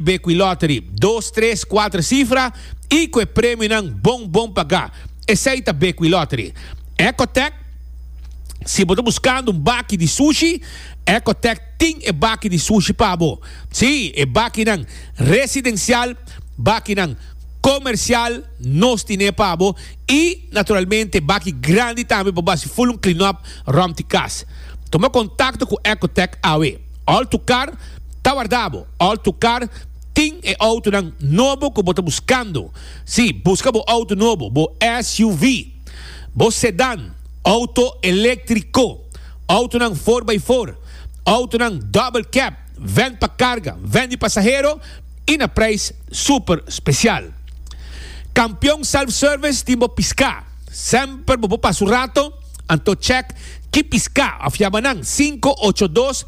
Be cu e lottery dos, tres, cuatro cifra y cu e premionan bon bon paga. Esey ta be cu e lottery. Ecotech Si bo ta buscando un baki di sushi, Ecotech tin e baki di sushi pa bo. Sí, e bakinan residencial, bakinan comercial nos tiné pa bo y naturalmente baki grandi tambe pa bo haci full un clean up rond di cas. Tuma contacto cu Ecotech awe. Alto Car ta warda bo. Alto Car tin e autonan nobo cu bo ta buscando. Si, busca bo auto nobo, bo SUV, bo sedan, auto electrico, autonan four by four, autonan double cab, ven pa carga, ven di pasahero y na prijs super special. Campeon Self Service tin bo pisca. Semper bo por pasa un rato. Anto chèk ki piská òf yama nan sinku ocho dos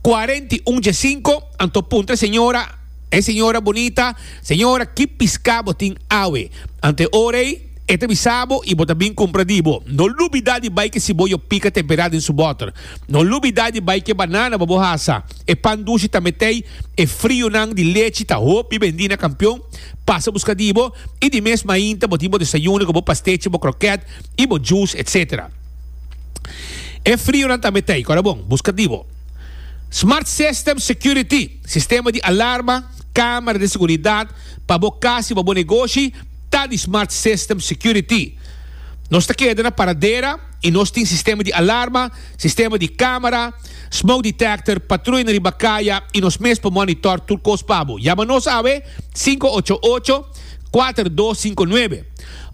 kuarenta i un dje sinku. Anto puntra e señora, E señora bunita, Señora, ki piská bo tin awe? Anto e ora ei, e ta bisa bo i bo ta bin kumpra di bo. No lubidá di bai ke siboyo pika temperá den su bòter. No lubidá di bai ke banana pa bo hasa. E pan dushi tambe t'ei. E frionan di lechi ta hopi bendí na Kampion. Pasa buska di bo. I di mes mainta bo tin bo desayuno ku bo pastechi, bo krokèt. y bo juice etc. E frio nan tambe ta ey, kora bon, buska di bo. Smart System Security, sistema di alarma, camera di seguridad, pa bo cas y pa bo negoshi ta di Smart System Security. Nos ta keda na paradera y nos tin sistema di alarma, sistema di camera, smoke detector, patruya na riba caya y nos mes por monitor tur cos pa bo. Yama nos awe, sinku ocho ocho, kuater dos sinku nuebe.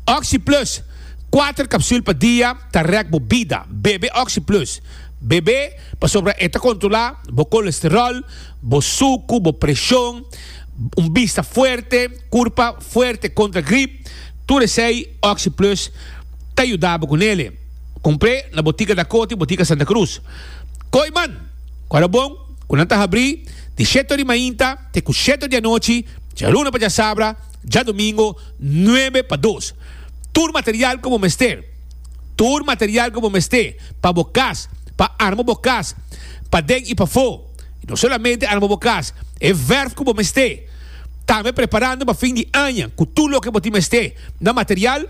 Oxi Plus, Kuater kapsul pa dia ta rèk bo bida. Bebe Oxi Plus. Bebe pasobra e ta kontrolá bo kolesteròl, bo suku, bo preshon, un bista fuerte, kurpa fuerte kontra grip. Tur esei Oxi Plus ta yuda bo ku nele. Kumpr'é na botika Dakoti, botika Santa Krus. Koi man, ku a rabon ku nan ta habrí di sheto di mainta te ku sheto di anochi, djaluna pa djasabra. Djadomingo nuebe pa dos. Tur material ku bo mester. Tur material ku bo mester pa bo kas, pa arma bo kas paden i pafó. I no solamente arma bo kas, e vèrf ku bo mester. Tambe preparando pa fin di aña ku tur loke bo tin mester na material.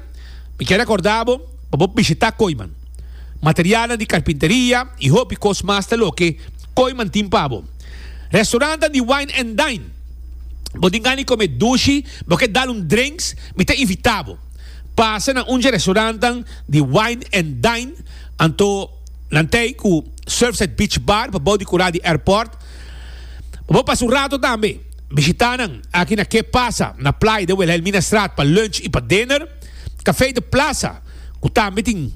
Mi kier rekordá bo pa bo bishitá Koiman. materialnan di karpinteria i hopi kos mas ta loke Kooiman tin pa bo. Restaurantnan di wine and dine. Bo tin gana di kome dushi, bo ke dal un drenks, mi ta invita bo. Pasa na un dje restaurantnan di wine and dine, anto nan ta ei ku Surfside Beach Bar pabou di kura di airport. Pa bo pasa un rato tambe, bishita nan aki na Ke Pasa na Playa de Wilhelminastraat pa lunch i pa dinner. Café de Plaza cu tambe tin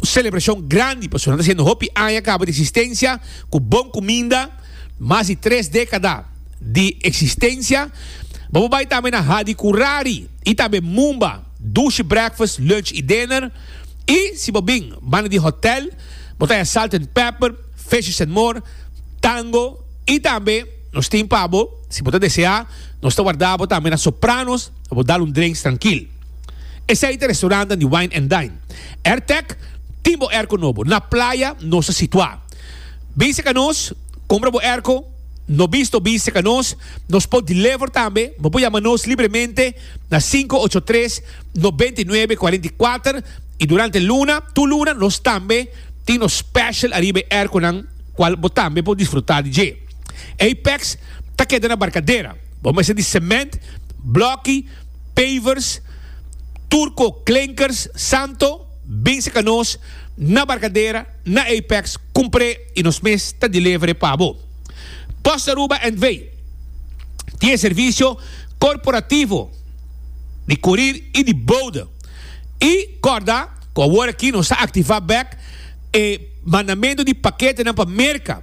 celebracion grandi pasobra nan ta haciendo hopi aña caba di existencia cu bon cuminda, mas di tres decada di existencia. Bo por bay tambe na Hadi Curari y tambe Mumba, Dushi Breakfast, Lunch y Dinner. Y si bo bin banda di hotel bo ta haya Salt and Pepper, Fishes and More, Tango y tambe. Nos tin pa bo, si bo ta deseá, nos ta wardá bo tambe na Sopranos pa bo dal un drenks trankil. Esei ta restaurantan di Wine and Dine. Airtec tin bo airco nobo, na playa nos ta situá. Bise ka nos, compra bo airco, no bisto bise ka nos, nos por deliver tambe, bo por yama nos libremente na sinku ocho tres, noventa i nuebe, kuarenta i kuater i durante luna tur luna nos tambe tin nos special ariba e airconan kual bo tambe por disfrutá di dje. Apex ta keda na Barcadera. Bo mester di cement, bloki, pavers, turco, klinkers, santo, bin seca nos na Barcadera, na Apex, cumpre y nos mes ta delevere pa bo. Post Aruba NV. Tin e servicio corporativo di curir y di bode. Y corda cu awor aki nos ta activa bek e mandamento di paketenan pa Merca.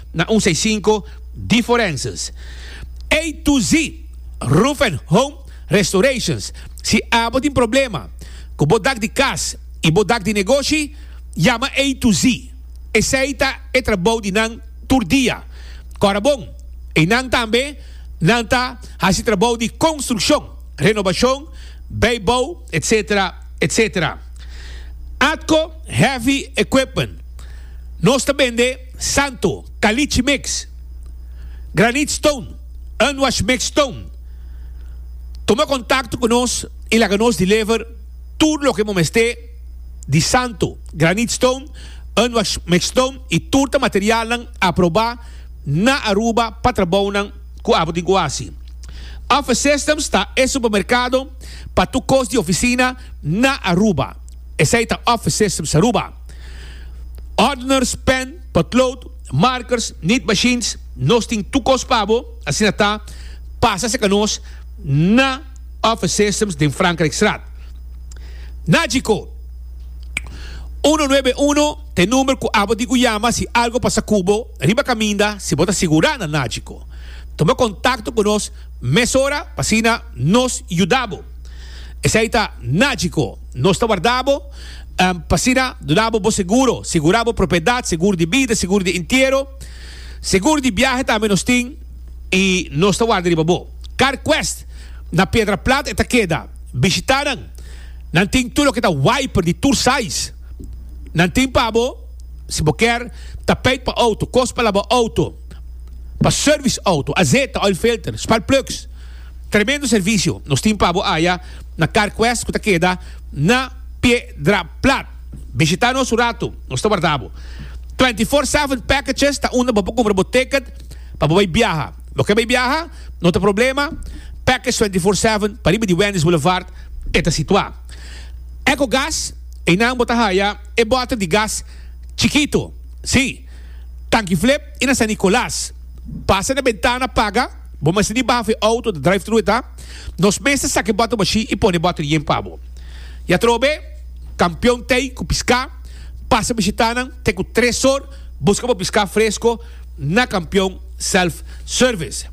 na un seisinko di forenses A to Z Roof and Home Restorations Si abo tin problema ku bo dak di kas i bo dak di negoshi, yama A to Z. Esei ta e trabou di nan tur dia. Kòrabon, einan tambe nan ta hasi trabou di konstrukshon, renobashon, beibou, etc. Etc. Atco Heavy Equipment Nos ta bende. Santo, Caliche Mix, Granite Stone, Unwashed Mix Stone, tuma contacto cu nos y laga nos deliver tur loke bo mester di Santo, Granite Stone, Unwashed Mix Stone y tur ta materialnan aproba na Aruba pa trabounan cu abo tin cu haci. Office Systems ta e supermercado pa tur cos di oficina na Aruba. Esey ta Office Systems Aruba. Ordners, pen, potlood, markers, nit machines, nos tin tur kos pa bo, asina ta, pasa seka nos na Office Systems den Frankrijkstraat. Nagico, uno nuebe uno, t'e number cu abo di cu yama si algo pasa cu bo riba caminda si bo ta sigura na Nagico. Tuma contacto cu nos mesora p'asina nos yuda bo. Esei ta nagico. Nos ta warda bo p'asina duna bo bo seguro. Segura bo propiedad, segur di bida, segur di entiero. Segur di biahe tambe nos tin y nos ta warda riba bo. CarQuest na Piedra Plat e ta keda. Bishita nan. Nan tin tur loke ta wiper di tur size. Nan tin pa bo, si bo kier, tapeit pa auto, cos pa laba auto, pa service auto, azeta, oil filter, spark plugs. Tremendo servicio nos tin pa bo aya na Car Quest cu ta keda na Piedra Plat. Bishita nos un rato, nos ta warda bo. Twenty Four Seven Packages ta unda bo por cumpra bo ticket pa bo bay biaha. Bo ke bay biaha? No ta problema, Package Twenty Four Seven pa riba di Wendy's Boulevard e ta situa. Eco Gas, eynan bo ta haya e bote di gas chikito, si, Tanki Flip y na San Nicolas. Pasa na bentana paga. Bo mester di baha fu e auto, ta drive-thru e ta. Nos mester saka e bòter machine i pone e bòter yen pa bo. I atrobe, kampion Tey ku piská pasa bishitanan te ku tres or buska bo piská fresko na Kampion Self Service.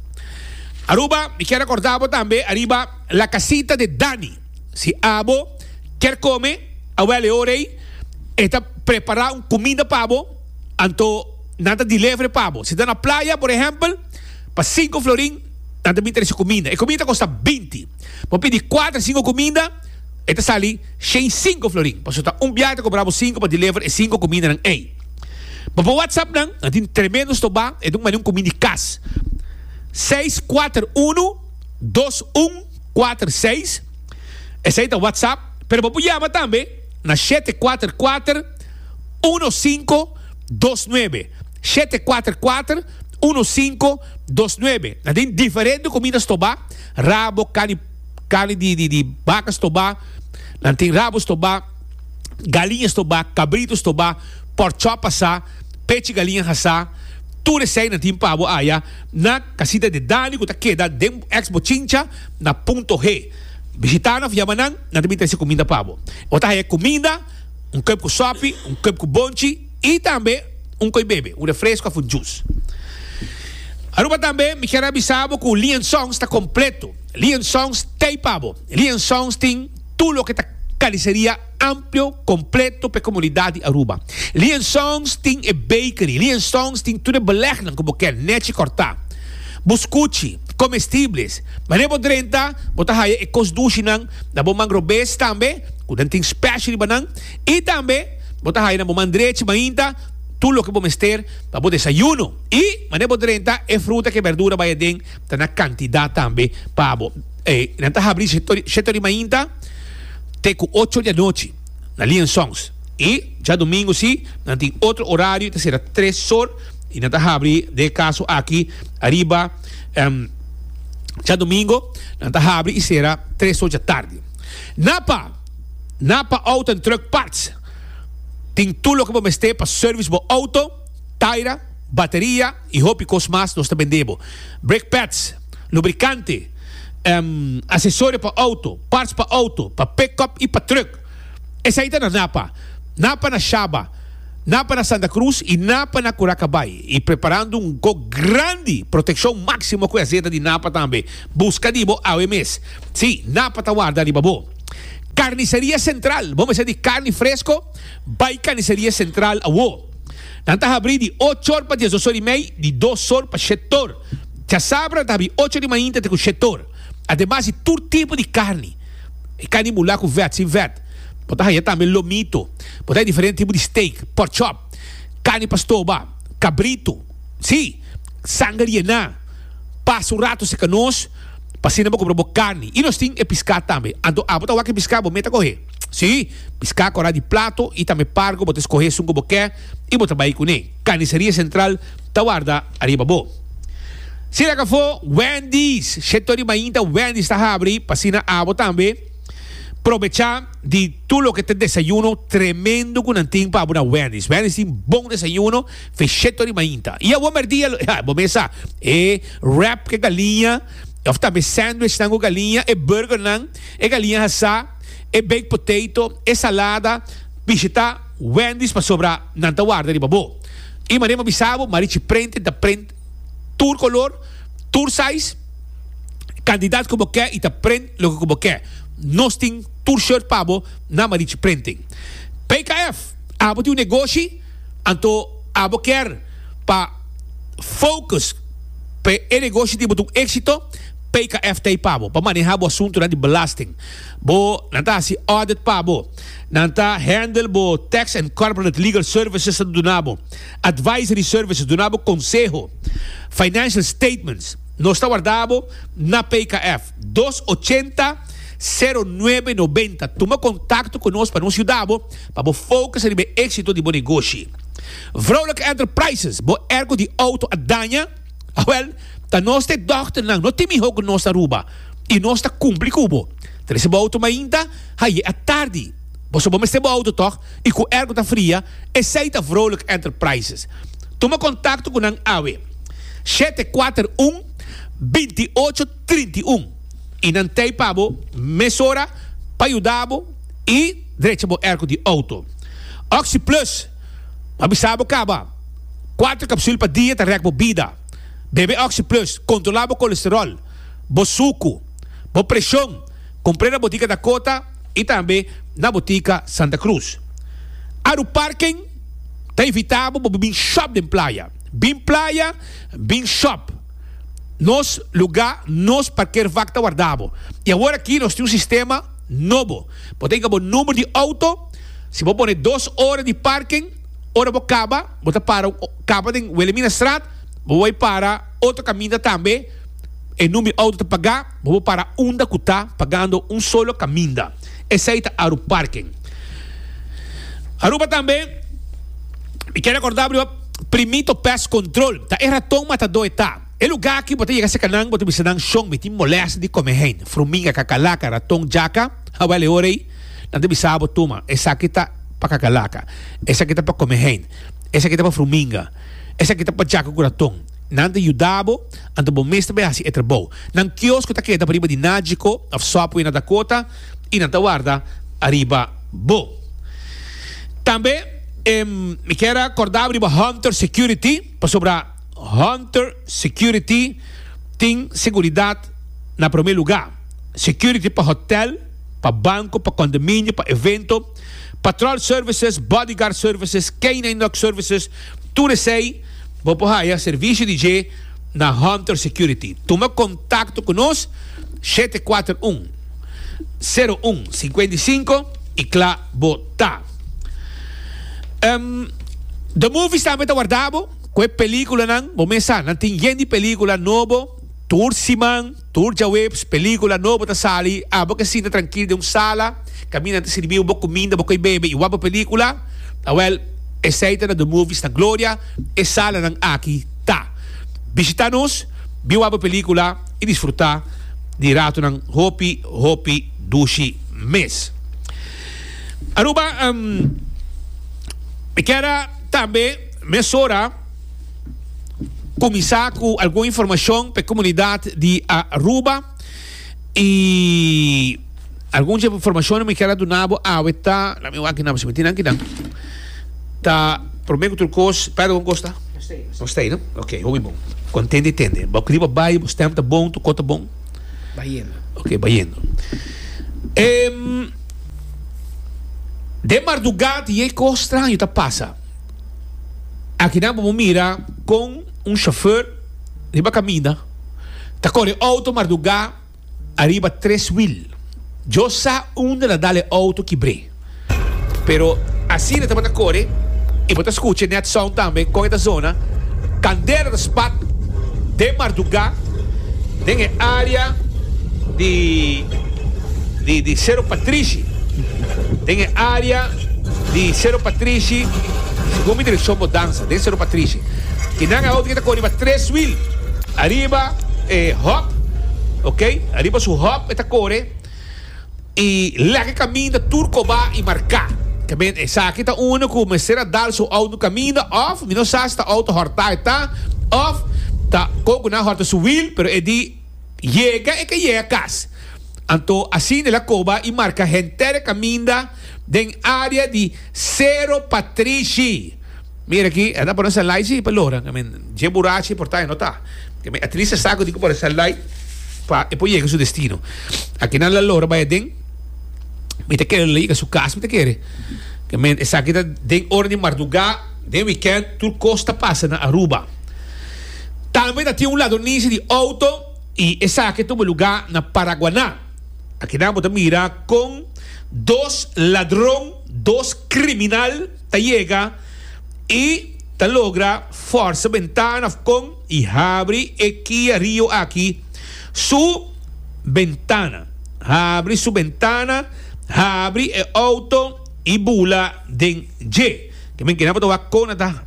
Aruba, mi kier rekordá bo tambe ariba La Casita de Dani. Si abo kier kome awèl e ora ei, e ta prepará un kuminda pa bo, anto nan ta delevere pa bo. Si ta na playa, por ehèmpel. Pa sinku florin, nan ta bin trese kuminda. E kuminda ta kosta binti. Bo pidi kuater, sinku kuminda, e ta sali shei sinku florin. Pasobra ta un biaha ta kubrá bo sinku pa deliver e sinku kumindanan ei. Bo por whatsapp nan, nan tin tremendo stobá, e ta un mani un kuminda di kas. Seis kuater unu, dos un, kuater seis, esei ta whatsapp, pero bo por yama tambe na shete kuater kuater, uno sinku, dos nuebe, shete kuater kuater. Uno sinku dos nuebe. Nan tin diferente kumida stobá, rabo, karni karni di di di baka stobá, nan tin rabo stobá, galiña stobá, kabritu stobá, pòrk chòp asá, pechi galiña hasá, tur esei nan tin pabo aya na Kasita de Dani ku ta keda den èks Bochincha na Punto G. Bishitana òf yama nan, nan ta bin trese kumida pabo. E por ta haya kumida, un kòp ku sòpi, un kòp ku bonchi. Y tambe un coi bebe, un refresco of un juice. Aruba tambe mi kier a bisa bo cu Lion Songs ta completo. Lion Songs t'ey pa bo. Lion Songs tin tur loke ta carniceria amplio, completo p'e comunidad di Aruba. Lion Songs tin e bakery. Lion Songs tin tur e belegnan cu bo kier, nechi corta, buscuchi, comestibles. Mane bo drenta, bo ta haya e cos dushi nan na bo mangrobees tambe, cu nan tin special riba nan. Y tambe. Bo ta haya na bo man drechi mainta tur loke bo mester pa bo desayuno. I mane bo drenta e fruta ku e berdura bai aden ta na kantidat tambe pa bo. E nan ta habri sheto di mainta te ku ocho di anochi na Lee and Sons. I djadumingu si nan tin otro orario i ta sera tres sor i nan ta habri den e kaso aki ariba djadumingu nan ta habri i sera tres sor djatardi. Na pa. Na pa auto en truck parts tin tur loke bo mester pa service bo auto, taira, bateria y hopi cos mas nos ta bende bo. Brake pads, lubricante, accesorio pa auto, parts pa auto, pa pickup y pa truck. Esai ta na Napa. Napa na Shaba, Napa na Santa Cruz y Napa na Curacabay y preparando un go grandi proteccion maximo cu e azeta di Napa tambe. Busca di bo awe mes. Si, Napa ta warda riba bo. Carniceria Central, bo mester di carni fresco, bay Carniceria Central awo. Nan ta habri di ocho or pa diesdos or y mey, di dos or pa shet or. Chasabra nan ta habri ocho di mainta te cu shet or. Ademas di tur tipo di carni. E carni bula cu vet, sin vet. Bo ta haya tambe lomito. Bo ta haya diferente tipo di steak, pork chop, carni pa stoba, cabrito, si, sanger yena, pasa un rato seca nos. pa asina bo compra bo carni y nos tin e piscá tambe, anto abo ta wak e piscá bo meta cohe, si, piscá corá di plato y tambe pargo bo ta escohe esun cu bo ke y bo ta bay cune, Carniceria Central ta warda ariba bo. Si el a cafó Wendy's, sheto di mainta Wendy's ta habri, pa asina abo tambe probechá di tur loke ta desayuno tremendo cu nan tin pa abo na Wendy's, Wendy's tin bon desayuno. Fechetto di mainta. I awor merdia lo. Ha, bo mes sa, e wrap cu galiña, of tambe sandwichnan cu galiña, e burgernan, e galiña hasá, e baked potato, e salada, bishi ta Wendy's pasobra nan ta warda riba bo. I mane bo bisa bo, Marichi Prenten ta prent tur color, tur size, cantidad cu bo ke i ta prent loke cu bo ke. Nos tin tur shirt pa bo na Marichi Prenten. PKF, Abo tin un negoshi? Anto abo kier pa focus pa e negoshi di bo ta un exito, PKF ta ei pa bo pa maneha bo asuntonan di belasting. Bo nan ta hasi audit pa bo, nan ta handle bo tax and corporate legal services ta duna bo advisory services, duna bo konseho, financial statements. Nos ta warda bo na PKF dos ochenta sero nuebe nobenta. Tuma kontakto ku nos pa nos yuda bo. Pa bo focus riba e exito di bo negoshi. Vrouwelijke enterprises, bo ergo di auto a daña? Awel, ta nos te dochternan, no tin miho ku nos ta Aruba i nos ta kumpli ku bo. Trese bo auto mainta, haye a tardi. Bo sa bo mester bo auto tòg i ku ergo ta fria, esei ta Vrouwelijke enterprises. Tuma kontakto ku nan awe, shete kuater un, binti ocho, trinta i un, i nan tei pa bo mesora pa yuda bo i drecha bo erko di outo. Oxy Plus, M'a bisa bo kaba, kuater kapsul pa dia ta rèk bo bida. Bebe Oxy Plus, kontrolá bo kolesteròl, bo suku, bo preshon, kumpr'é na Botika Dakota i tambe na Botika Santa Cruz. Aru Parken ta invitá bo pa bo bin shòp den playa. Bin playa, bin shòp! nos lugá, nos parkeervak ta wardá bo. I awor aki nos tin un sistema nobo. Bo ta hika bo number di outo, si bo pone dos ora di parken, ora bo kaba, bo ta para kaba den Wilhelmina Straat, bo bai para otro kaminda tambe, e number di outo ta pagá, bo por para unda ku ta pagando un solo kaminda. Esei ta Aru Parken. Aruba tambe, mi ke rekorda riba Primito Pest Control, ta e raton matadó e ta. E lugá aki bo ta yega serka nan, bo ta bisa nan, Shon, mi tin molèste di kome hein, fruminga, kakalaka, raton, jaka, awèl e ora ei nan ta bisa bo, Tuma, esaki ta pa kakalaka, esaki ta pa kome hein, esaki ta pa fruminga. Esaki ta pacha ku kuraton. Nan ta yuda bo, anto bo mes ta bai hasi e trabou. Nan kios ku ta keda pa riba di Nagiko òf Subway na Dakota i nan ta warda ariba bo. Tambe mi kier a kordabo riba Hunter Security, pasobra Hunter Security tin seguridat na promé lugá. Security pa hotèl, pa banko, pa kondominio, pa evento. Patrol Services, Bodyguard Services, Canine Dog Services, tur esei bo por haya servicio di dje na Hunter Security. Tuma contacto cu nos shete cuater un, sero un, cincuenta y cinco y cla bo ta. Um, The Movies tambe ta warda bo cu e peliculanan, bo mes sa, nan tin yen di pelicula nobo tur siman. Tur djaweps pelicula nobo ta sali, abo ke sinta trankil den un sala, kaminda nan ta sirbiu bo kuminda, bo koi bebe i wak bo pelicula? Awel, esei ta na The Movies na Gloria, e salanan aki ta. Bishita nos, bin wak bo pelicula i disfruta di ratonan hopi hopi dushi mes. Aruba, Mi kier a tambe mesora. kuminsá ku algun informashon pa e komunidat di Aruba i algun dje informashon nan mi kier a duna bo awe ta la mi wak nan si mi tin aki nan ta promé ku tur kos Pedro kon kos ta? Nos ta ei no? Ok hopi bon kontent i tende bo riba bai bo stèm ta bon tur kos ta bon? Bayendo Ok bayendo den marduga di e kos straño ta pasa. Aki nan bo por mira con un chauffeur riba caminda ta core auto marduga ariba tres wiel. Yo sa unda ta dal e auto kibre, pero asina tabata core y bo ta scucha net sound tambe con e ta zona. Candela ta spat den marduga den e area di Cerro Patrishi, den e area. Di Sero Patrishi, segun mi direkshon bo dansa den Sero Patrishi. I nan auto ke ta kor riba tres wil, ariba e hòp, ok, ariba su hòp e ta kore, i lèke kaminda tur kobá i marká. Ta bini esaki ta unu ku mester a dal su auto kaminda òf mi no sa si ta auto hòrtá e ta òf ta kon ku nan hòrta su wil, pero e di. Yega e ka yega kas. Anto asina el a koba i marka henter kaminda den área di Sero Patrishi. Mira aki, el ta pone salai si pa loran. I mean, dje burachi por ta, e no ta. I mean, atliest e sa ku tin ku pone salai pa e por yega su destino. Aki nan la lora bai aden. Mi ta kere lo yega su kas, mi ta kere. I mean, esaki ta den ora di mardugá, den wikènt, tur kos ta pasa na Aruba. Tambe ta tin un ladronisi di outo y esaki tumba luga na Paraguaná. Akinan bo ta mira con dos ladron, dos criminal ta yega y ta logra forsa bentana of con y habri e Kia Rio aki su bentana. Habri su bentana, habri e outo y bula den dje. Ke men kena bo tawak kona ta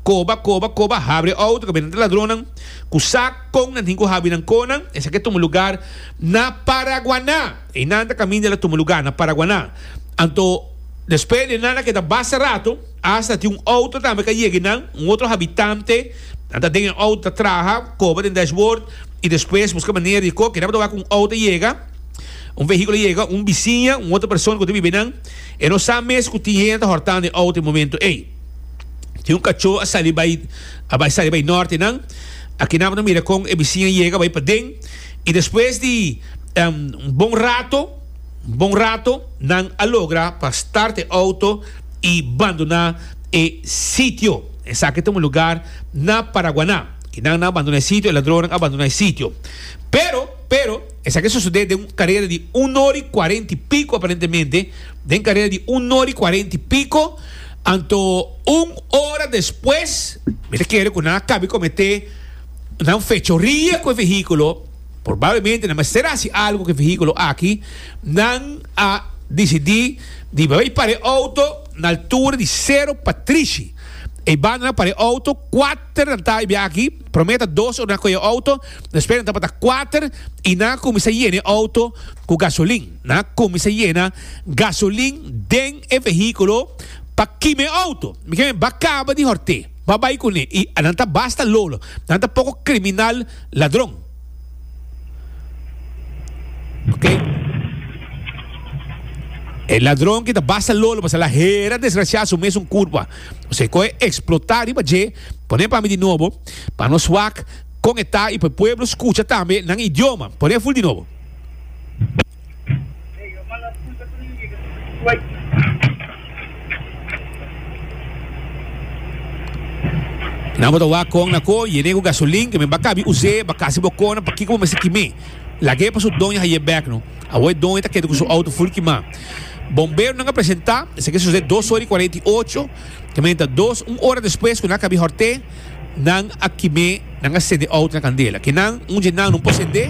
koba koba koba habri e outo kabena ta ladronnan ku sa kon nan tin ku habi nan konan esaki a tuma lugar na Paraguaná y nan ta kaminda el a tuma lugar na Paraguaná anto despues di nan a keda basta rato hasta tin un outo tambe ka yegi nan un otro habitante nan ta den e outo ta traha koba den dashboard y despues buska manera di ko kena bo ta wak un outo a yega un vehículo a yega un bisiña un otro persona ku ta biba nan. E no sa mes cu tin hende a hortando e auto e momento ey. Tin un cacho a sali bay a bay sali bay norte nan. Aki nan bo ta mira con e bicin a yega bay paden y despues di un bon rato, un bon rato nan a logra pa start e auto y bandona e sitio. Esaki ta un lugar na Paraguana y nan nan a bandona e sitio, e ladronnan a bandona e sitio. Pero, pero. Esaki a sosodé den un karera di un ora i kuarenta i piko aparentemente, den karera di un ora i kuarenta i piko, anto un ora despues mi ta kere ku nan a kabe kometé nan fechoria ku e vehíkulo, probablemente nan mester a hasi algu ku e vehíkulo aki, nan a disidí di bai para e outo na altura di Sero Patrishi. Eibanda nan a para e outo kuater. Ter nan ta bia aki, prome ta dos ora nan koe e outo, despues nan tabata kuater i nan a kuminsa yena e outo ku gasolin. Nan a kuminsa yena gasolin den e vehíkulo pa kima e outo. Mi keme ba kaba di horté, ba bai kuné i nan ta basta lolo, nan ta poko kriminal ladron. Ok. E ladron ki ta basta lolo pasobra hera desgrasiá su mes un kurpa. Nos ke koe eksplotá riba dje, pone pa mi di nobo, pa nos wak konetá i pa e pueblo skucha tambe nan idioma. Pone ful di nobo. Nan bo ta wak kon na ko yen'é ku gasolin, ke mi bakabi us'é, bakasi bo kona pakiko bo mester kim'é. Lag'é pa su doña haye bèk no. Awor e don e ta keda cu su auto full kimá. Bomberonan a presentá esaki a sucedé dos ora y cuarenta y ocho, ta menta dos un ora despues cu nan a cabí horté, nan a kimé, nan a cendé auto na candela. Kenan un dje nan no por cendé,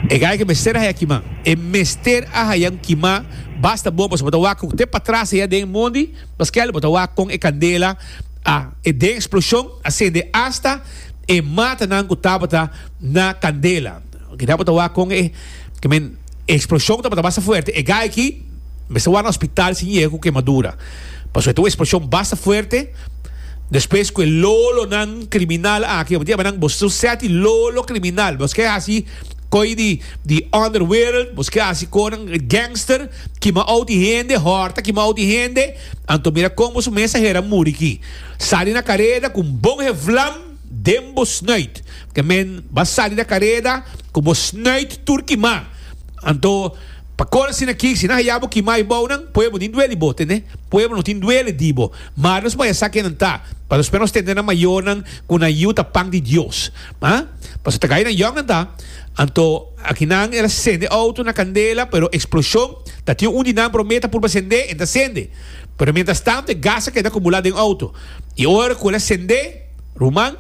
e gai ke mester a haya kimá. E mester a hayan kimá basta bon pasobra bo ta wak cu te patras aya den mondi, paskal bo ta wak con e candela a e den explosion a cendé hasta e matanan ku tabata na kandela. Oke, dal bo ta wak kon e, ke men, e eksploshon tabata basta fuerte. E gai aki mester wak na hospital si yega ku kemadura. Pasobra e ta un eksploshon basta fuerte. Despues ku e lolonan kriminal aki, bo diabanan, bo su sèti lolo kriminal. Bos ke hasi koi di, di underworld, bos ke hasi konan, gangster, kima outi hende, hòrta, kima outi hende. Anto mira kon bo su mensahera muri ki. Sali na kareda ku un bon heflam den bo snuit. Ke men ba sali na kareda ku bo snuit tur kimá. Anto, pa kor asina ki, si nan haya bo kimá i bounan, pueblo tin duel di bo, tende? Pueblo no tin duel di bo. Mar nos maya sa kenan ta, pasobra espe nos tende nan mayornan ku nan yiu ta pan di Dios. Ha? Pasobra ta gaya nan yòknan ta. Anto, akinan el a sende outo na kandela, pero eksploshon ta tin un di nan promé ta purba sendé, e no ta sende. Pero mientras tanto e gas a keda acumula den auto y ora cu el a cende, ruman,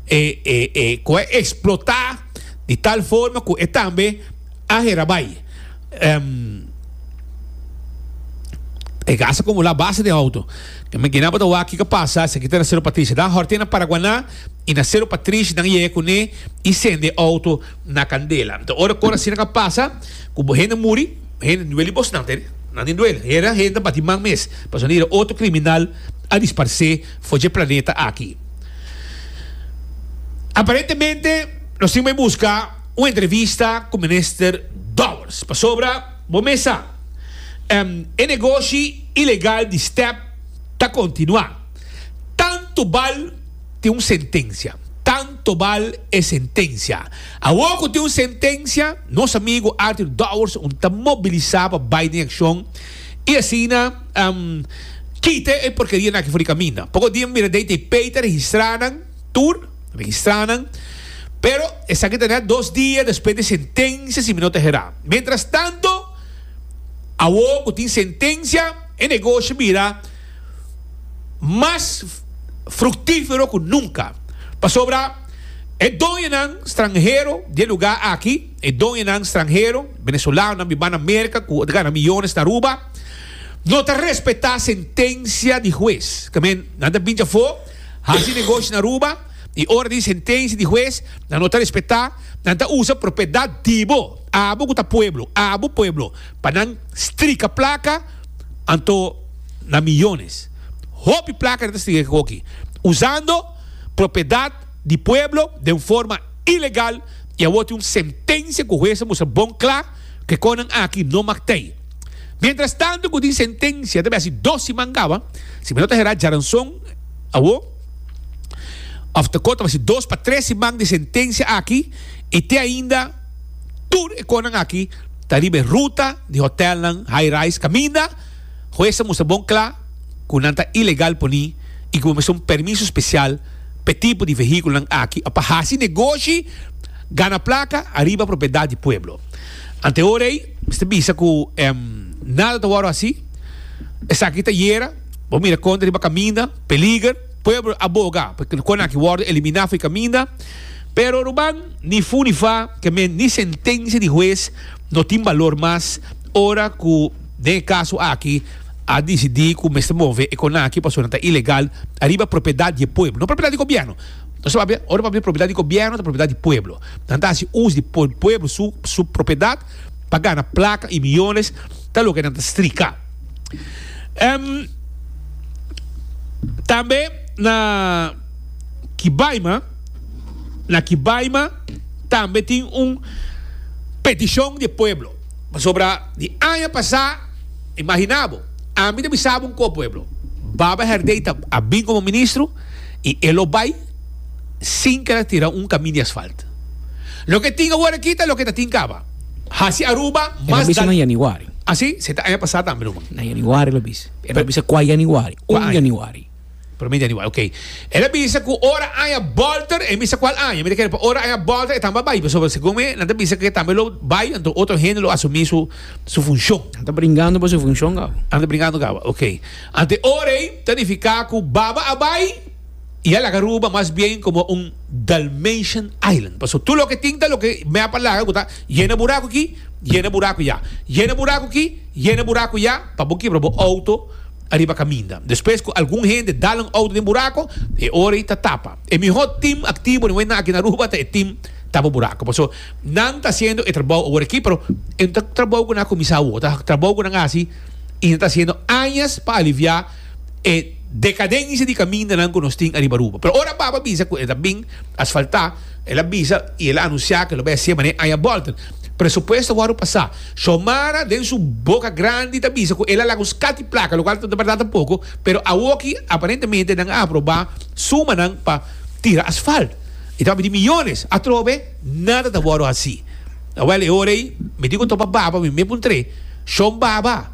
e e e cu a explota di tal forma cu e tambe a hera bay. Um, E gas a acumula basta den auto. Yo me gina pa ta wak kico a pasa, esaki ta na Cerro Patricia. Dan horten na Paraguaná y na Cerro Patricia nan yega cune y cende auto. na candela. Nta ora cor asina ca pasa, cu bo hende muri, hende ndueli bos nan teri? Nandi nduel. Hera hende ta bati man mes, pasobra nan ira otro criminal a disparse for dje planeta aki. Aparentemente nos tin bay busca un entrevista cu minister Dowers, pasobra bo mes sa, em, e negoshi ilegal di step ta continua. Tan tubal tin un sentencia, tan. tobal e sentencia. Awor cu tin un sentencia, nos amigo Arthur Dowers un ta mobilisa pa bay den accion y asina kite e porkeria naki for di caminda. Poco dia mira dei t'e pei ta registra nan tur, registra nan, pero esaki ta net dos dia despues di e sentencia si mi no ta hera. Mientras tanto, awor cu tin sentencia, e negoshi mira. mas fructífero cu nunca, pasobra e doñonan stranhero di e lugá aki, e doñonan stranhero, venezolanonan biba na Merca cu ta gana miyones na Aruba, no ta respetá sentencia di hues. Camen, nan ta binchi afó, haci negoshi na Aruba, i ora tin sentencia di hues, nan no ta respetá, nan ta usa propiedad di bo, abo cu ta pueblo, abo pueblo, pa nan strica placa, Anto na miyones. Hopi plaka di Testigonan di Jehova hoki usando propiedad di pueblo den forma ilegal y awor tin un sentencia cu hues a mustra bon cla cu e cosnan aki no mag ta ey. Mientras tanto cu tin sentencia ta bay haci dos siman caba, si mi no ta hera djaranzon awor, of ta cor ta bay haci dos pa tres siman di sentencia aki y te ainda tur e cosnan aki. ta riba e ruta di hotelnan high-rise kaminda hues a mustra bon kla ku nan ta ilegal poni i ku bo mester un permiso spesial pa e tipo di vehikulonan aki, òf pa hasi negoshi, gana plaka, ariba propiedat di pueblo. Ante e ora ei mi ta bisa ku nada ta wòrdu hasi. Esaki ta yera, bo mira konta riba kaminda, peliger. Pueblo a boga pa konanki wòrdu eliminá for e kaminda. Pero ruban, ni fu ni fa, kemen ni sentencia di huez no tin balor mas ora cu den e caso aki a dicidi cu mester move e conaki pasobra nan ta ilegal ariba propiedad di e pueblo, no propiedad di gobierno. Nos ta papia, ora papia propiedad di gobierno ta propiedad di pueblo. Nan ta haci us di pueblo su su propiedad pa gana placa y millones, ta loke nan ta strica. Tambe na. Kibaima, na Kibaima tambe tin un peticion di e pueblo, pasobra di aña pasa, imagina bo, ami ta bisa bo un kos pueblo, Baba Herdey ta a bin como ministro y e lo bay sin keda tira un camin di asfalt. Loke tin awor aki ta loke ta tin caba. Haci Aruba mas daño. E lo a bisa na Januari. Asi? Se ta aña pasa tambe, ruman. Na Januari lo a bisa. E lo a bisa cua Januari? Un Januari. Prome dia di wai, ok. El a bisa cu ora aña bolter, e mi sa cual aña, mi ta kere pa ora aña bolter e tambe a bai, pasobra segun mi nan ta bisa cu e tambe lo bai, anto otro hende lo asumi su su funcion. Nan ta bringando pa su funcion gaba. Nan ta bringando gaba, ok. Anto e ora ei ta nifica cu baba a bai y a laga Aruba mas bien como un Dalmatian island, pasobra tur loke tin ta loke map a laga cu ta yena buracu aki, yena buracu ya, yena buracu aki, yena buracu ya, pa bo kibra bo auto. ariba kaminda. Despues ku algun hende dal un outo den burako, e ora ei ta tapa. E mihó tim aktivo den Wena aki na Aruba ta e tim tapa burako. Paso, nan ta hasiendo e trabou awor aki, pero e no ta trabou ku nan a kuminsá awor. Ta trabou ku nan hasi i nan ta hasiendo añas pa aliviá e dekadensia di kamindanan ku nos tin ariba Aruba. Pero ora Baba bisa ku e ta bin asfaltá, El a bisa y el a anuncia ke lo bai a hacia manera aña Bolton. Presupuesto a wordo pasa. Xiomara den su boca grandi ta bisa cu el a laga un scati placa, locual ta bardad ta poco, pero awoki aparentemente nan a aproba sumanan pa tira asfalt. E ta miti millones. Atrobe, nada ta wordo haci. Awel, e ora ey, mi tin cu topa baba mi me puntre, Xiom baba,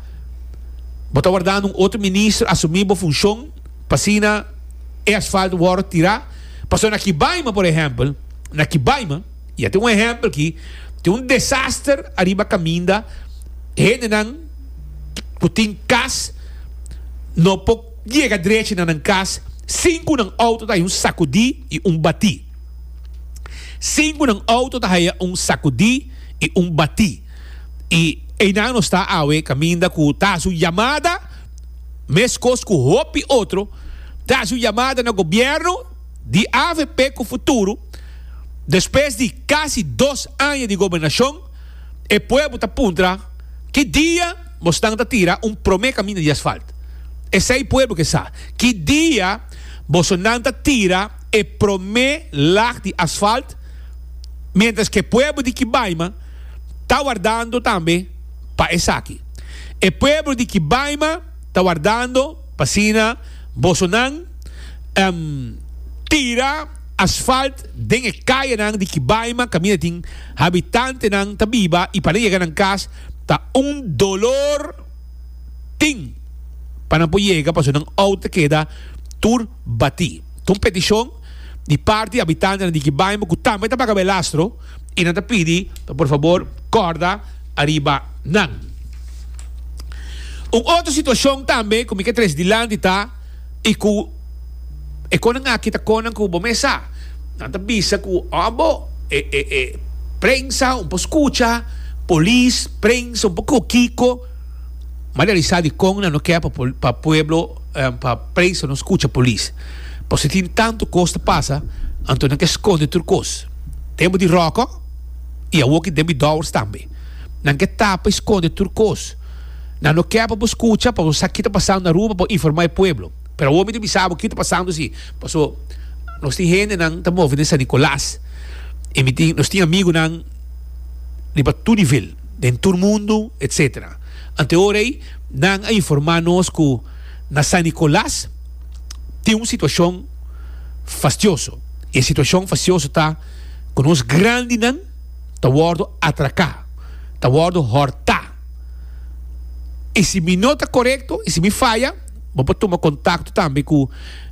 bo ta wardando un otro ministro asumi bo funcion? P'asina e asfalt wòrdu tirá pasobra na Kibaima, por ehèmpel, na Kibaima, i a tin un ehèmpel akí, tin un desaster ariba kaminda, hendenan ku tin kas no por yega drechi na nan kas sin ku nan outo ta haya un sakudí i un batí. Sin ku nan outo ta haya un sakudí i un batí. I einan nos ta awe kaminda ku ta hasi un yamada. Meskos ku hopi otro, ta hasi un yamada na gobierno di avp ku futuro, despues di kasi dos aña di gobernacion, e pueblo ta puntra, ki dia bosnan ta tira un prome kaminda di asfalt? Esei pueblo ke sa. Ki dia bosonan ta tira e prome lag di asfalt? Mientras ke pueblo di Kibaima ta wardando tambe. pa esaki. E pueblo di Kibaima ta wardando pa asina bosonan tira asfalt den e kayanan di Kibaima kaminda tin habitantenan ta biba i pa nan yega nan kas ta un dolor tin pa nan por yega pasobra nan out ta keda tur batí. Ta un peticion di parti di habitantenan di Kibaima cu tambe ta baga Belastro. y nan ta pidi pa por fabor corda ariba nan. Un otro situacion tambe cu mi ke tres dilanti ta y cu e conan aki ta conan cu bo mesa nan ta bisa cu abo e e e prensa un por scucha polis prensa un por cu kico ma di alisa di con nan no ke pa pol pa pueblo pa prensa no scucha polis pasobra tin tanto cos ta pasa anto nan ke sconde tur cos. Tempu di ròkò i awoki den mi dòwers tambe. Nan ke tapa i skonde tur kos. Nan no ke pa bo skucha pa bo sa kita pasando na Aruba pa bo informa e pueblo. Pero awor mi ta bisa bo kita pasando si paso nos tin hendenan ta move den San Nicolas i mi tin nos tin amigunan riba tur nivel den tur mundu etc. Ante ora ei nan a informa nos ku na San Nicolas tin un situashon. fastioso. E situashon fastioso ta ku nos grandinan ta wòrdu atraká, ta wòrdu hòrtá. I si mi no ta korekto, i si mi faya, bo por tuma kontakto tambe ku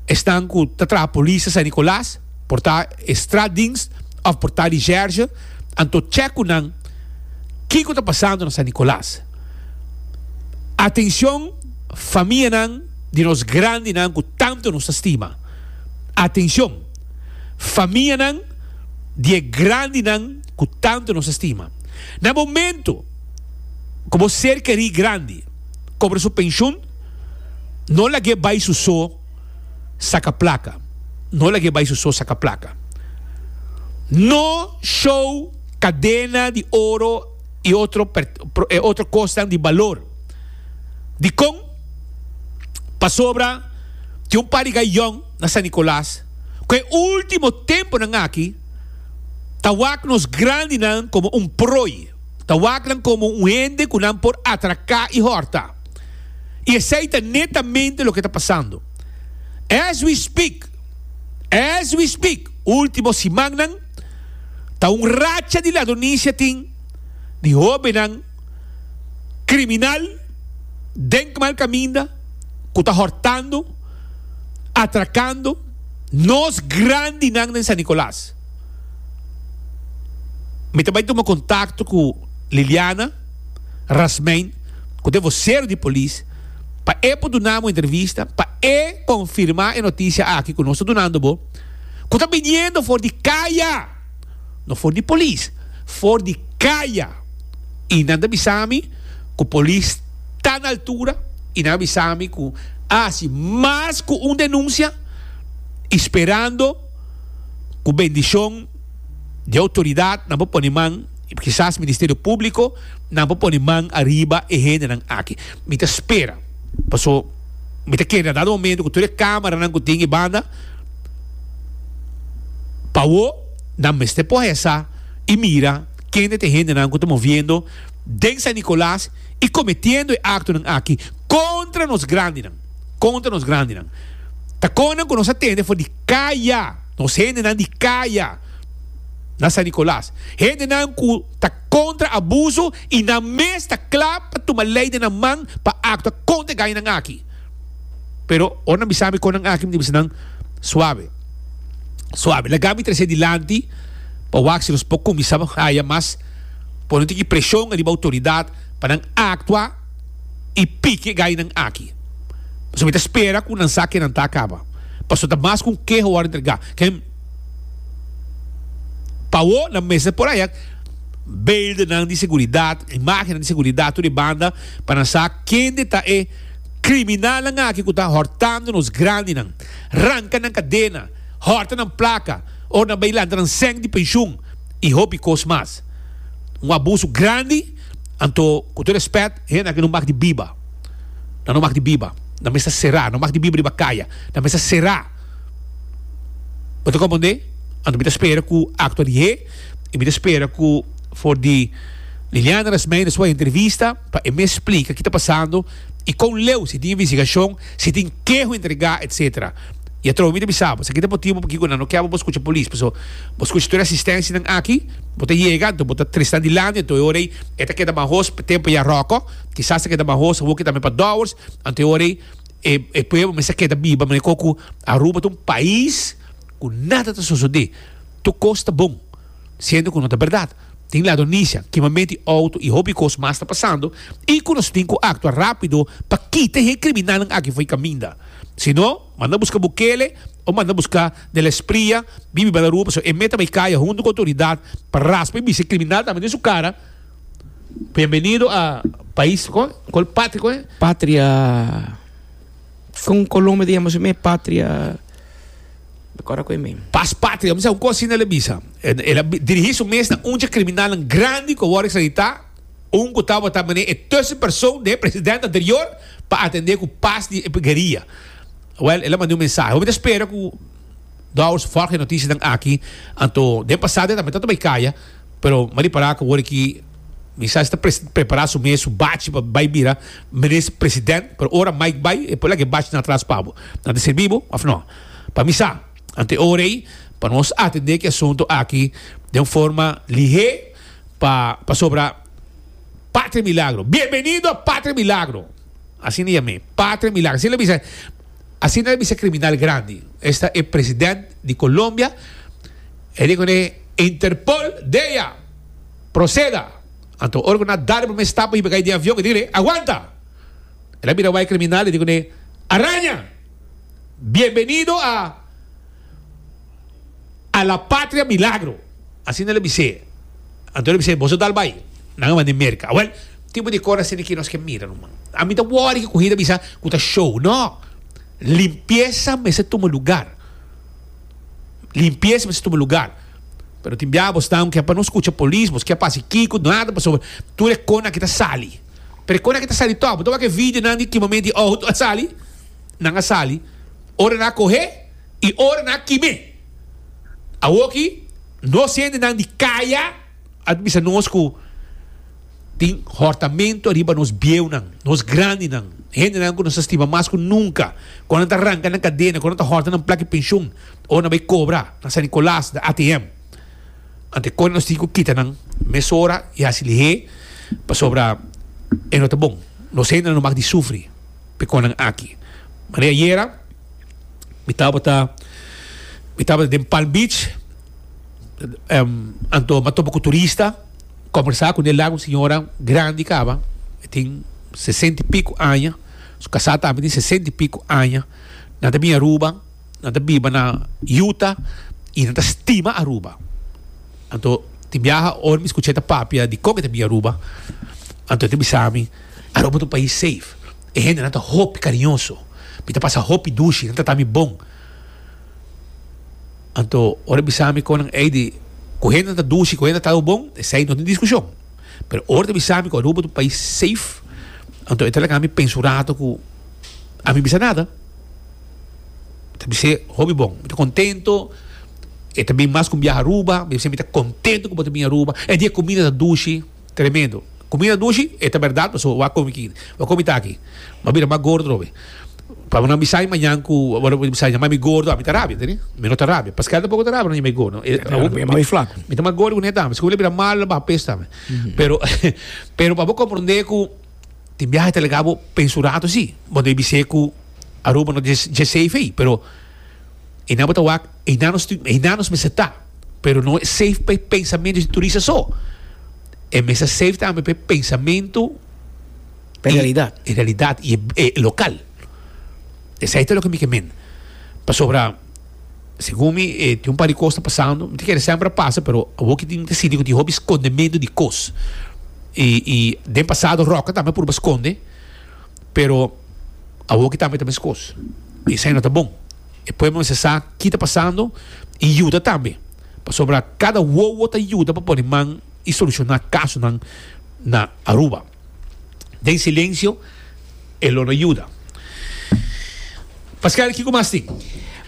esnan ku ta traha polis na San Nikolas, por ta e straatdienst òf por ta di zhèrzhe, anto chèk ku nan kiko ta pasando na San Nikolas. Atencion famianan di nos grandinan cu tanto nos ta stima. Atencion famianan di e grandinan cu tanto nos ta stima. Na momento cu bo ser keri grandi cobra su pensioen, no lag'é bay su so saca placa. No lag'é bay su so saca placa. No show Cadena di Oro. i otro e otro kosnan di balor. Dikon? Pasobra tin un par di gayòn na San Nikolas ku e último tempunan aki ta wak nos grandinan komo un proi, ta wak nan komo un hende ku nan por atraká i hòrta. I esei ta netamente loke ta pasando as we speak, as we speak, último simannan. Ta un racha di lado Nice tin di hobennan kriminal den ku mal kaminda ku ta hortando, atrakando nos grandinan den San Nicolas. Mi ta bai tuma kontakto ku Liliana Rasmein ku ta e vosero di polis pa e por duna amo entrevista pa e konfirmá e notisia aki ku nos ta dunando bo. ku ta biniendo for di kaya, no for di polis, for di kaya, i nan ta bisa mi ku polis ta na altura i nan a bisa mi ku a hasi mas ku un denunsia i sperando ku bendishon di outoridat nan por pone man, kisas Ministerio Públiko, nan por pone man ariba e hendenan aki. Mi ta spera paso mi ta kere na dado momento ku tur e kámaranan ku tin e banda. Pa wou nan mester pohesa y mira kende ta e hendenan cu ta moviendo den San Nicolas y cometiendo e actonan aki contra nos grandinan, contra nos grandinan. Ta connan cu nos a tende for di caya, nos hendenan di caya na San Nicolas. Hendenan cu ta contra abuso y nan mes ta cla pa tuma ley den nan man pa actua contra e gañanan aki. Pero ora nan bisa mi kon nan aki, mi ta bisa nan, Suave, suave, laga mi tras'é dilanti pa wak si nos por kuminsá haya mas, pone un tiki preshon ariba outoridat pa nan aktua i pike gainan aki. Pasobra mi ta spera ku nan sa ke nan ta kaba. Paso ta mas ku un keha wòrdu entregá. Ken pa awo nan mester por haya beeldennan di seguridat, imágennan di seguridat tur e banda pa nan sa kende ta e. Kriminalnan aki ku ta hòrtando nos grandinan, ranka nan kadena, hòrta nan plaka òf nan bai lanta nan sèn di penshun i hopi kos mas. Un abusu grandi, anto ku tur rèspèt hende aki no mag di biba. Nan no mag di biba. Nan mester será. No mag di biba riba kaya. Nan mester será. Bo ta komprondé? Anto mi ta spera ku aktua di hé i mi ta spera ku for di Liliana Rasmijn despues di e entrevista, Pa e mes splika ki ta pasando i kon leu si tin investigashon, si tin keho entregá, etc. I atrobe mi ta bisa bo, esaki ta e motibu pakiko nan no kèba bo skucha polis, paso bo skucha tur e asistensianan aki, bo ta yega anto bo ta trisnan di landi, anto e ora ei e ta keda mahos pa tempu ya ròkò, kisas ta keda mahos awor kita tambe pa dòwers, anto e ora ei e e pueblo mester keda biba manera kon ku Aruba ta un pais ku nada ta sosodé, tur kos ta bon, siendo ku no ta bèrdat. Tin lado Nisha ki mamenti e outo i hopi kos mas ta pasando i ku nos tin ku aktua rápido pa kita e kriminalnan aki fo'i kaminda. Si no, manda buska Bukele o manda buska De la Espriella bibi Balarú pasobra e meta bai kaya huntu ku outoridat pa raspa i bisa e kriminal tambe den su kara, Bienvenido a pais, kònde? Kòl? Patria kònde? Patria. Con Colombia ta yama su mes patria de acuerdo cu e men. Pas patria, mi sa un cos asina el a bisa. El a dirigi su mes na un dje criminalnan grandi cu a wor extradita, un cu tabata mane e tussen persoon den e president anterior pa atende cu pas di e gueria. Wel, el a mandi un mensahe. Hopi ta spera cu Douwes ta volg e noticianan aki, anto den pasado e tambe tabata bay caya, pero mari para cu awor aki, Mi sa e ta prepara su mes, su bachi pa bai bira Minister President, pero ora Mike bai e por lak e bachi na atras pa bo. Ta ta serbi bo of no? Pa mi sa, ante ora ei pa nos atende ki asunto aki den un forma lihé pa pasobra Patria Milagro, bienvenido a Patria Milagro! Asina yam'é, Patria Milagro. Asina el a bisa, asina el a bisa e kriminal grandi. Esta e President di Colombia, e di kuné Interpol dea! Proceda! Anto ora cu nan a dal e primer stap pa hiba cay den avion, e dicul'e, Aguanta! El a bira bay e criminal, e dicu n'e, Araña! Bienvenido a a la patria milagro! Asina el a bis'e. Anto el a bis'e, Boso dal bay, nan a man'e Merca. Awel, tipo di cor asina ki nos ke mira ruman. Ami ta worry cu Cogida a bisa cu ta show. No! Limpieza mester tuma lugar. Limpieza mester tuma lugar. Pero tin bia bos nan kia pa no skucha polis bos kia pa hasi kiko nada pasobra tur e kon aki ta sali pero e kon aki ta sali tok bo ta wak e video nan di kima menti di ohout a sali nan a sali ora nan a kohe i ora nan a kime awoki nos hende nan di kaya a bisa nos ku tin hortamento ariba nos bieu nan nos grandi nan hende nan ku nos a stima mas ku nunka kon nan ta ranka nan kadena kon nan ta horta nan plak i penshun. Ora bai cobra na San Nicolas na ATM ante con nos tin cu kita nan mesora y haci lihe pasobra e no ta bon. Nos hende nan no mag di sufri p'e con nan aki. Mari ayera mi tabata mi tabata den Palm Beach anto m'a topa cu turista conversa cu Nel Lago un señora grandi caba e tin sesenta y pico aña su casa tambe tin sesenta y pico aña nan ta bini Aruba. Nan ta biba na Utah y nan ta stima Aruba. Anto tin biaha ora mi scucha e ta papia di con e ta bini Aruba. Anto e ta bisa mi, Aruba ta un pais safe. E hendenan ta hopi cariñoso. Mi ta pasa hopi dushi, nan trata mi bon. Anto ora e bisa mi con nan ey di cu hende nan ta dushi, cu hende nan ta trata bo bon, esey no tin discusion. Pero ora e ta bisa mi cu Aruba ta un pais safe, anto e ta laga mi pensa un rato cu ami bisa nada. ta bis'é hopi bon. Mi ta contento. E ta bin mas cu mi biaha Aruba. Mi ta bis'é mi ta contento cu bo ta bin Aruba. E di e cumida ta dushi, tremendo. Cumida ta dushi, e ta berdad pasobra bo a comi aki, bo a comi taki. Bo a bira mas gordo atrobe. Pabia nan bisa mi mañan cu bo ta bisa yama mi gordo, ami ta rabia, tende? Mi no ta rabia. Pasquel tampoco ta rabia nan yama e gordo. Mi ta mas gordo cu ne dam. Scubi lo bira malo, lo baha pes tambe. Pero, pero pa bo comprende cu. Tin biaha e ta lega bo pa e su rato si, bo ta bis'é ku Aruba no ta dje safe ei, pero einan bo ta wak einan nos einan nos mester ta, pero no e safe pa e pensamentu di e turista so, e mester ta safe tambe pa e pensamentu Pa e realidat. i e realidat i e lokal. Esei ta loke mi ke mende. Pasobra. Segun mi e tin un par di cos ta pasando no ta kere semper a pasa pero awo ki tin siti cu tin hopi scondemedo di cos y y den pasado Roca tambe a purba sconde pero awo ki tambe ta mes cos y esai no ta bon e pueblo mester sa kita pasando y yuda tambe pasobra cada wowo ta yuda pa pone man y soluciona casonan na Aruba. den silencio e lo na yuda. Pascal, kico mas tin?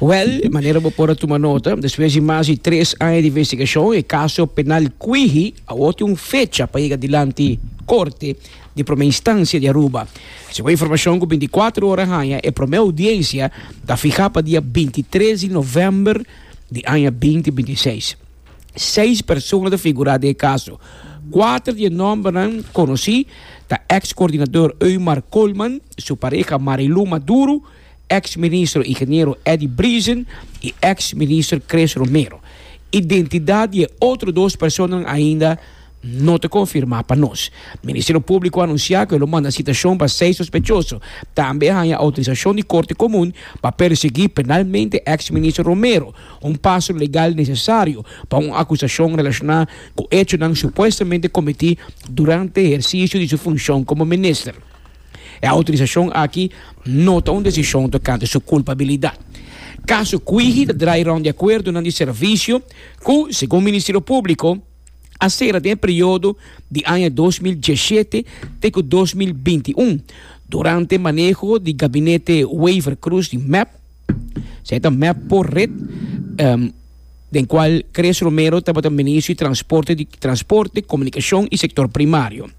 Well, manera bo por a tuma nota, despues di mas di tres aña di investigacion, e caso penal Cuiji awor tin un fecha pa yega dilanti Corte di Prome Instancia di Aruba. Segun informacion cu binticuatro ora a haña, e prome audiencia ta fiha pa dia bintitres di november di aña binti bintiseis. seis persona ta figurá den e kaso. Kuater di e nòmbernan konosí ta èks koordinador Eumar Colman, su pareha Marilú Maduro, èks ministro Ingeniero Eddy Briezen i èks minister Chris Romero. Identidat di e otro dos personanan ainda no ta konfirmá pa nos. Ministerio Públiko a anunsiá ku e lo manda sitashon pa seis sospechoso. Tambe a haña outorisashon di Korte Komun pa persiguí penalmente èks minister Romero, un paso legal nesesario pa un akusashon relashoná ku echonan supuestamente kometí durante ehersisio di su funshon komo minister. E outorisashon aki no ta un desishon tokante su kulpabilidat. Kaso Kwiji ta drai rònt di akuerdonan di servisio ku, segun Ministerio Públiko, a sera den e periodo di aña dos mil diesshete te ku dos mil binti i un durante maneho di gabinete Wever Croes di mep, esei ta mep por ret, den kual Chris Romero tabata Ministro di Transporte, Transporte, Komunikashon i Sektor Primario.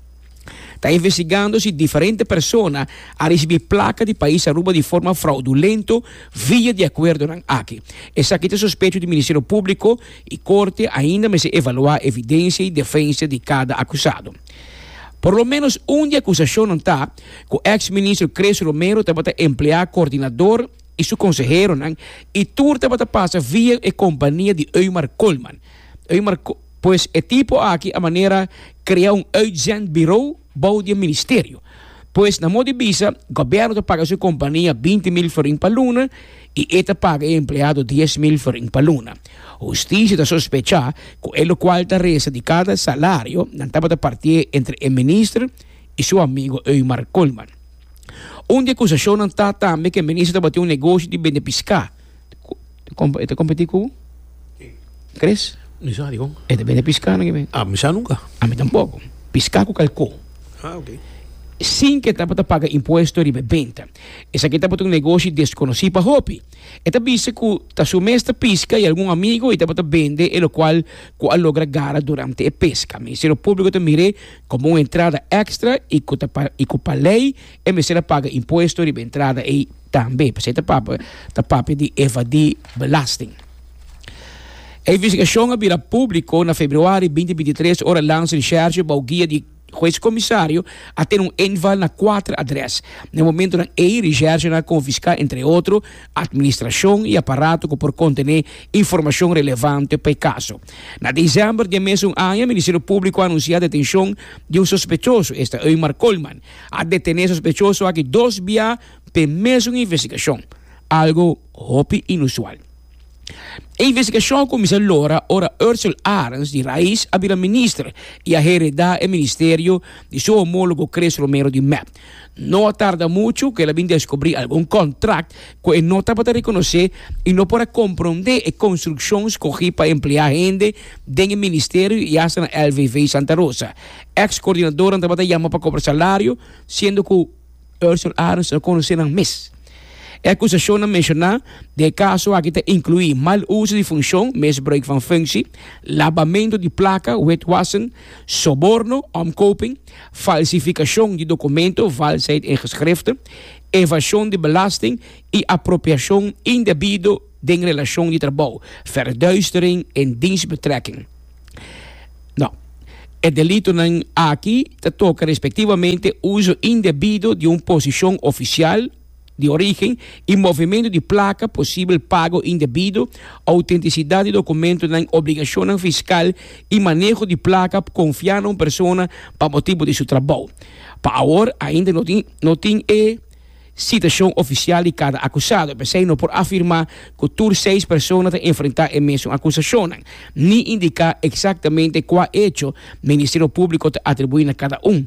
ta investigando si diferente persona a risibi plaka di pais Aruba di forma fraudulento via di akuerdonan aki. Esaki ta sospecho di Ministerio Públiko i Korte ainda mester evaluá evidensia i defensia di kada akusado. Por lo ménos un di akusashonnan ta ku èks ministro Chris Romero tabata empleá kordinador i su konseheronan i tur tabata pasa via e kompania di Eumar Colman. Eumar. Pues e tipo aki a manera krea un uitzendbirou bou di e ministerio. Pues na modi bisa, gobièrnu ta paga su kompania binti mil florin pa luna i e ta paga e empleado dies mil florin pa luna. Hustisia ta sospechá ku e lokual ta resta di kada salario nan tabata partié entre e minister i su amigu Eumar Koolman. Un di e akusashonnan ta tambe ku e minister tabatin un negoshi di bende piská. E ta kompetí ku kres. Mi sa dikon. E ta bini piská nan kimin. A mi sa nunka. A mi tampoko. Piská ku kalkó. A ok. Sin ku e tabata paga impuesto riba e benta. Esaki tabata un negoshi deskonosí pa hopi. E ta bisa ku ta su mes ta piska i algun amigu i tabata bende e lokual ku a logra gara durante e peska. Ministerio Públiko ta mir'é komo un entrada èkstra i ku ta i ku pa lei e mester a paga impuesto riba e entrada ei. Tambe pasey ta papia ta papia di evadí belasting. E investigashon a bira públiko na februari binti binti tres ora Lance Recherche bou guia di Hues Komisario a tene un inval na kuater adrès. Na e momentunan ei recherchenan a konfiská entre otro atministrashon i aparato ku por kontené informashon relevante pa e kaso. Na desèmber di e mesun aña Ministerio Públiko a anunsiá detenshon di un sospechoso, esta Eumar Colman. A detené sospechoso aki dos bia. P'e mesun investigashon, algo hopi inusual. E investigashon a kuminsá lora ora Ursel Arens di rais a bira minister i a heredá e ministerio di su homólogo Chris Romero di mep. No a tarda muchu ku el a bin deskubrí algun kòntrakt ku e no tabata rekonosé i no por a komprondé e konstrukshon skogí pa empleá hende den e ministerio i asta na LVV Santa Rosa. Èks kordinadónan tabata yama pa kobra salario, siendo ku. Ursel Arens a konosé nan mes. E akusashonnan menshoná den e kaso aki ta inkluí mal uso di funshon, misbruik van funksie, labamentu di plaka, witwassen, soborno, omkoping, falsifikashon di dokumento, valsheid in geschrifte, evashon di belasting i apropiashon indebido Den relacion di trabou, verduistering in dienstbetrekking. No. E delitonan aki ta toca respectivamente uso indebido di un posicion oficial di origen y movimento di placa, posibel pago indebido, autenticidad di documentonan, obligacionnan fiscal y maneho di placa confia na un persona pa motibo di su trabou. Pa awor ainda no tin e. Sitashon ofisial di kada akusado, p'esei no por afirmá ku tur seis persona ta enfrentá e mesun akusashonnan, ni indiká eksaktamente kua echo Ministerio Públiko ta atribuí na kada un.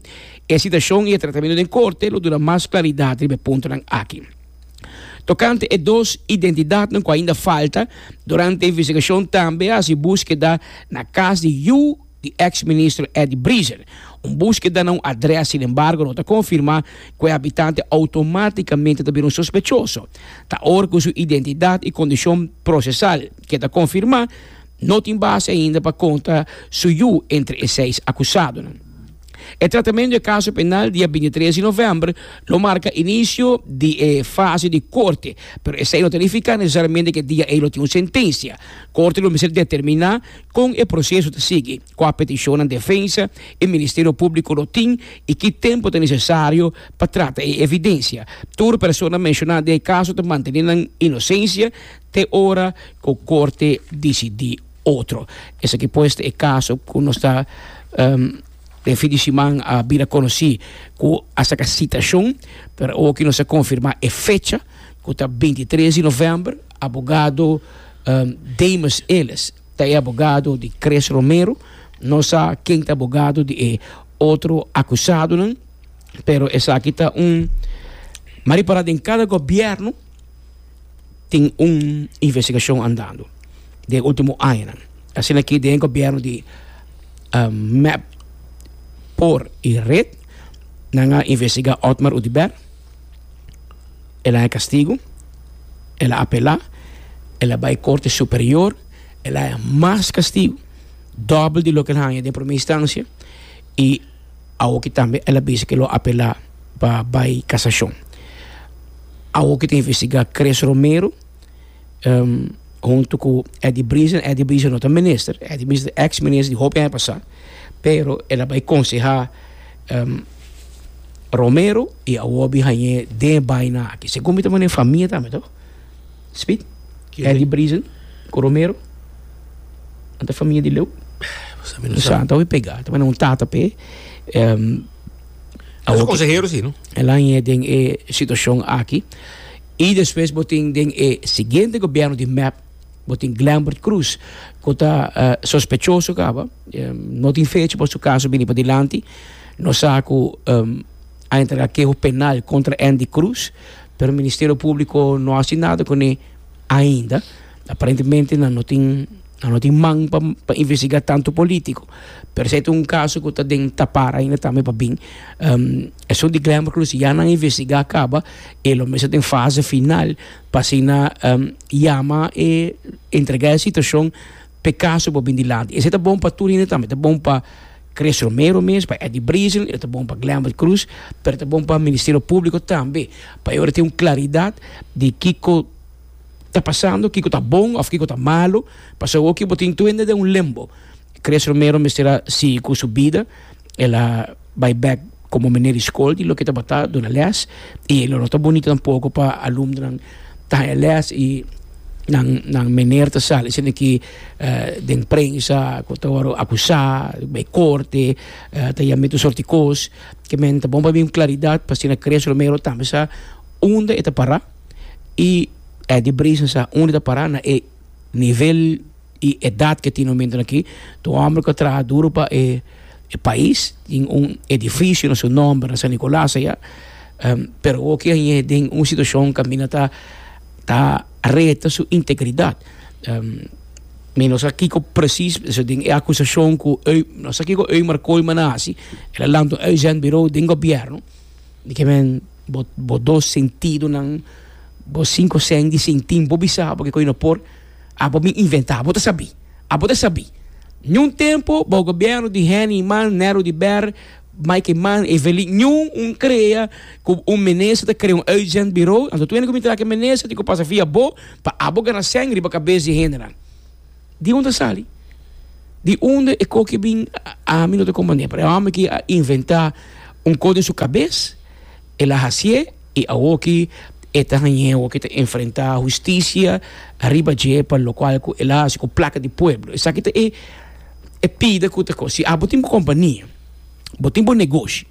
E sitashon i e tratamentu den korte lo duna mas klaridat riba e puntonan aki. Tokante e dos identidatnan ku ainda falta, durante e investigashon tambe a hasi buskeda na kas di yu, di eks ministro Eddie Briezer. Un búskeda na un adrès sin embargo no ta konfirmá ku e habitante outomátikamente ta bira un sospechoso. Ta or ku su identidat i kondishon prosesal, ke ta konfirmá, no tin base ainda pa konta su yu entre e seis akusadonan. E tratamentu di e kaso penal dia binti tres di novèmber lo marka inisio di e fase di korte, pero esei no ta nifiká nesesariamente ku e dia ei lo tin un sentensia. Korte lo mester determiná Kon e proseso ta sigui, kua petishonnan defensa i Ministerio Públiko lo tin i ki tempu ta nesesario pa trata e evidensia. Tur persona menshoná den e kaso ta mantené nan inosensia te ora ku korte disidí otro. Esaki pues ta e kaso ku nos ta den fin di siman a bira konosí ku a saka sitashon, pero awoki nos a konfirmá e fecha ku ta bintitres di novèmber. Abogado Damus Elis ta e abogado di Chris Romero. No sa ken ta abogado di e otro akusadonan, pero esaki ta un mari para den kada gobièrnu tin un investigashon andando den ultimo añanan. Asina ke den e gobièrnu di mep, por i red nan a investigá Otmar Oduber. el a haña kastigu, el a apelá, el a bai Korte Superior, el a haña mas kastigu, dòbel di loke el haña den promé instansha, i awoki tambe el a bisa ku el lo apelá pa bai kasashon. Awoki ta investigá Chris Romero huntu ku Eddie Brison, Eddie Brison no ta minister, Eddie Brison ta ex minister di hopi aña pasá, pero el a bai konsehá Romero i awor a bin hañ'é den e baina aki. Segun mi ta wene e famia tambe to, Smith, Eddie Brison ku Romero nan ta famia di Leu, mi sa, mi ta hopi pegá, ta wene un tata p'e awor ki el a hañ'é den e situashon aki. I despues bo tin den e siguiente gobierno di mep bo tin Glambert Cruz cu ta sospechoso caba no tin fecha pa su caso bini padilanti no sa cu a entrega keho penal contra Andy Cruz pero Ministerio Publico no haci nada cune ainda. Aparentemente nan no tin nan no tin man pa pa investigá tantu polítiko. Pero si ai ta un kaso ku ta den tapar ainda tambe pa bin esun di Glenvert Cruz si ya nan investigá kaba e lo mes ta den fase final pa asina yama e entregá e situashon pa e kaso por bin dilanti. Esei ta bon pa tur hende tambe, ta bon pa Chris Romero mes, pa Eddie Brison, e ta bon pa Glenvert Cruz, pero ta bon pa Ministerio Públiko tambe pa e ora tin un klaridat di kiko ta pasando, kiko ta bon of kiko ta malo, pasobra awoki bo tin tuende den un limbo. Chris Romero mester a sigui cu su bida, el a bay bek como mene di scol di loke tabata duna les y elo no ta bonito tampoco pa alumnonan ta haya les y nan nan mener ta sali esaki den prensa cu ta word'o acusa, bay corte, ta yama mi tur soort di cos, kimen ta bon pa mi un claridad pa asina Chris Romero tambe sa unda e ta para. y e di brisa sa unda ta para na e nivel y edad ke tin hombrenan aki, ta un hombre ku a traha duro pa e pais, tin un edificio na su nomber na San Nicolas aya, pero hoki a yega den un situacion kaminda ta ta reta su integridad, mi no sa kiko precies pasobra den e acusacion ku no sa kiko Ömer Kooijman a hasi, el a lanta un uitzendbureau den gobierno di ke men. bo bo dos sentidonan bo sinku sens di sintin bo bisa abo kiko y no por abo mi inventa abo ta sabi abo ta sabi ñu un tempo bou gobierno di Henny man Nero di Ber Mikey man Evelin ñu un crea cu un minister ta crea un urgent bureau anto tu hende cu minta aki minister tin cu pasa via bo pa abo gana sens riba cabes di hendenan. Di unda sali? Di unda e koki bin ami no ta komand'é pero e homber ki a inventá un kos den su kabes el a hasié i awor ki e ta hañ'é awor ki e ta enfrentá husticia ariba dje pa lo kual ku el a hasi ku plaka di pueblo esaki ta e pida ku ta kos si abo tin bo kompania bo tin bo negoshi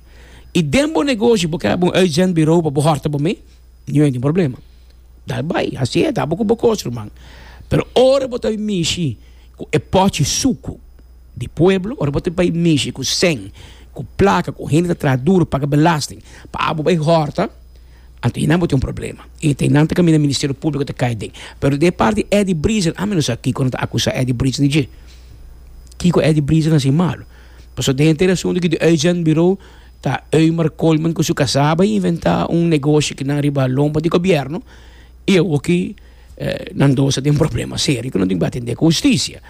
i den bo negoshi bo ker hab'é un urgent birou pa bo hòrta bo mei. Niun hende tin problema. Dal bai, hasi e, dal bo ku bo kos, ruman. Pero ora bo ta bai mishi ku e pòchi suku di pueblo, ora bo ta bai mishi ku sèn, ku plaka, ku hende ta traha duru, paga belasting, pa abo bai hòrta, anto einan bo tin un problema. I ta einan ta kaminda Ministerio Públiko ta kai den. Pero den e parti di Eddie Briezen, ami no sa kiko nan ta akusá Eddie Briezen di dje. Kiko Eddie Briezen a hasi malu? Pasobra den henter e asuntu aki di Uitzendbureau. ta Eumer Coleman cu su casaba y inventa un negocio que nan riba lomba di gobierno y awoki eh, nan dos a tin problema serio que no tin ba atender con justicia.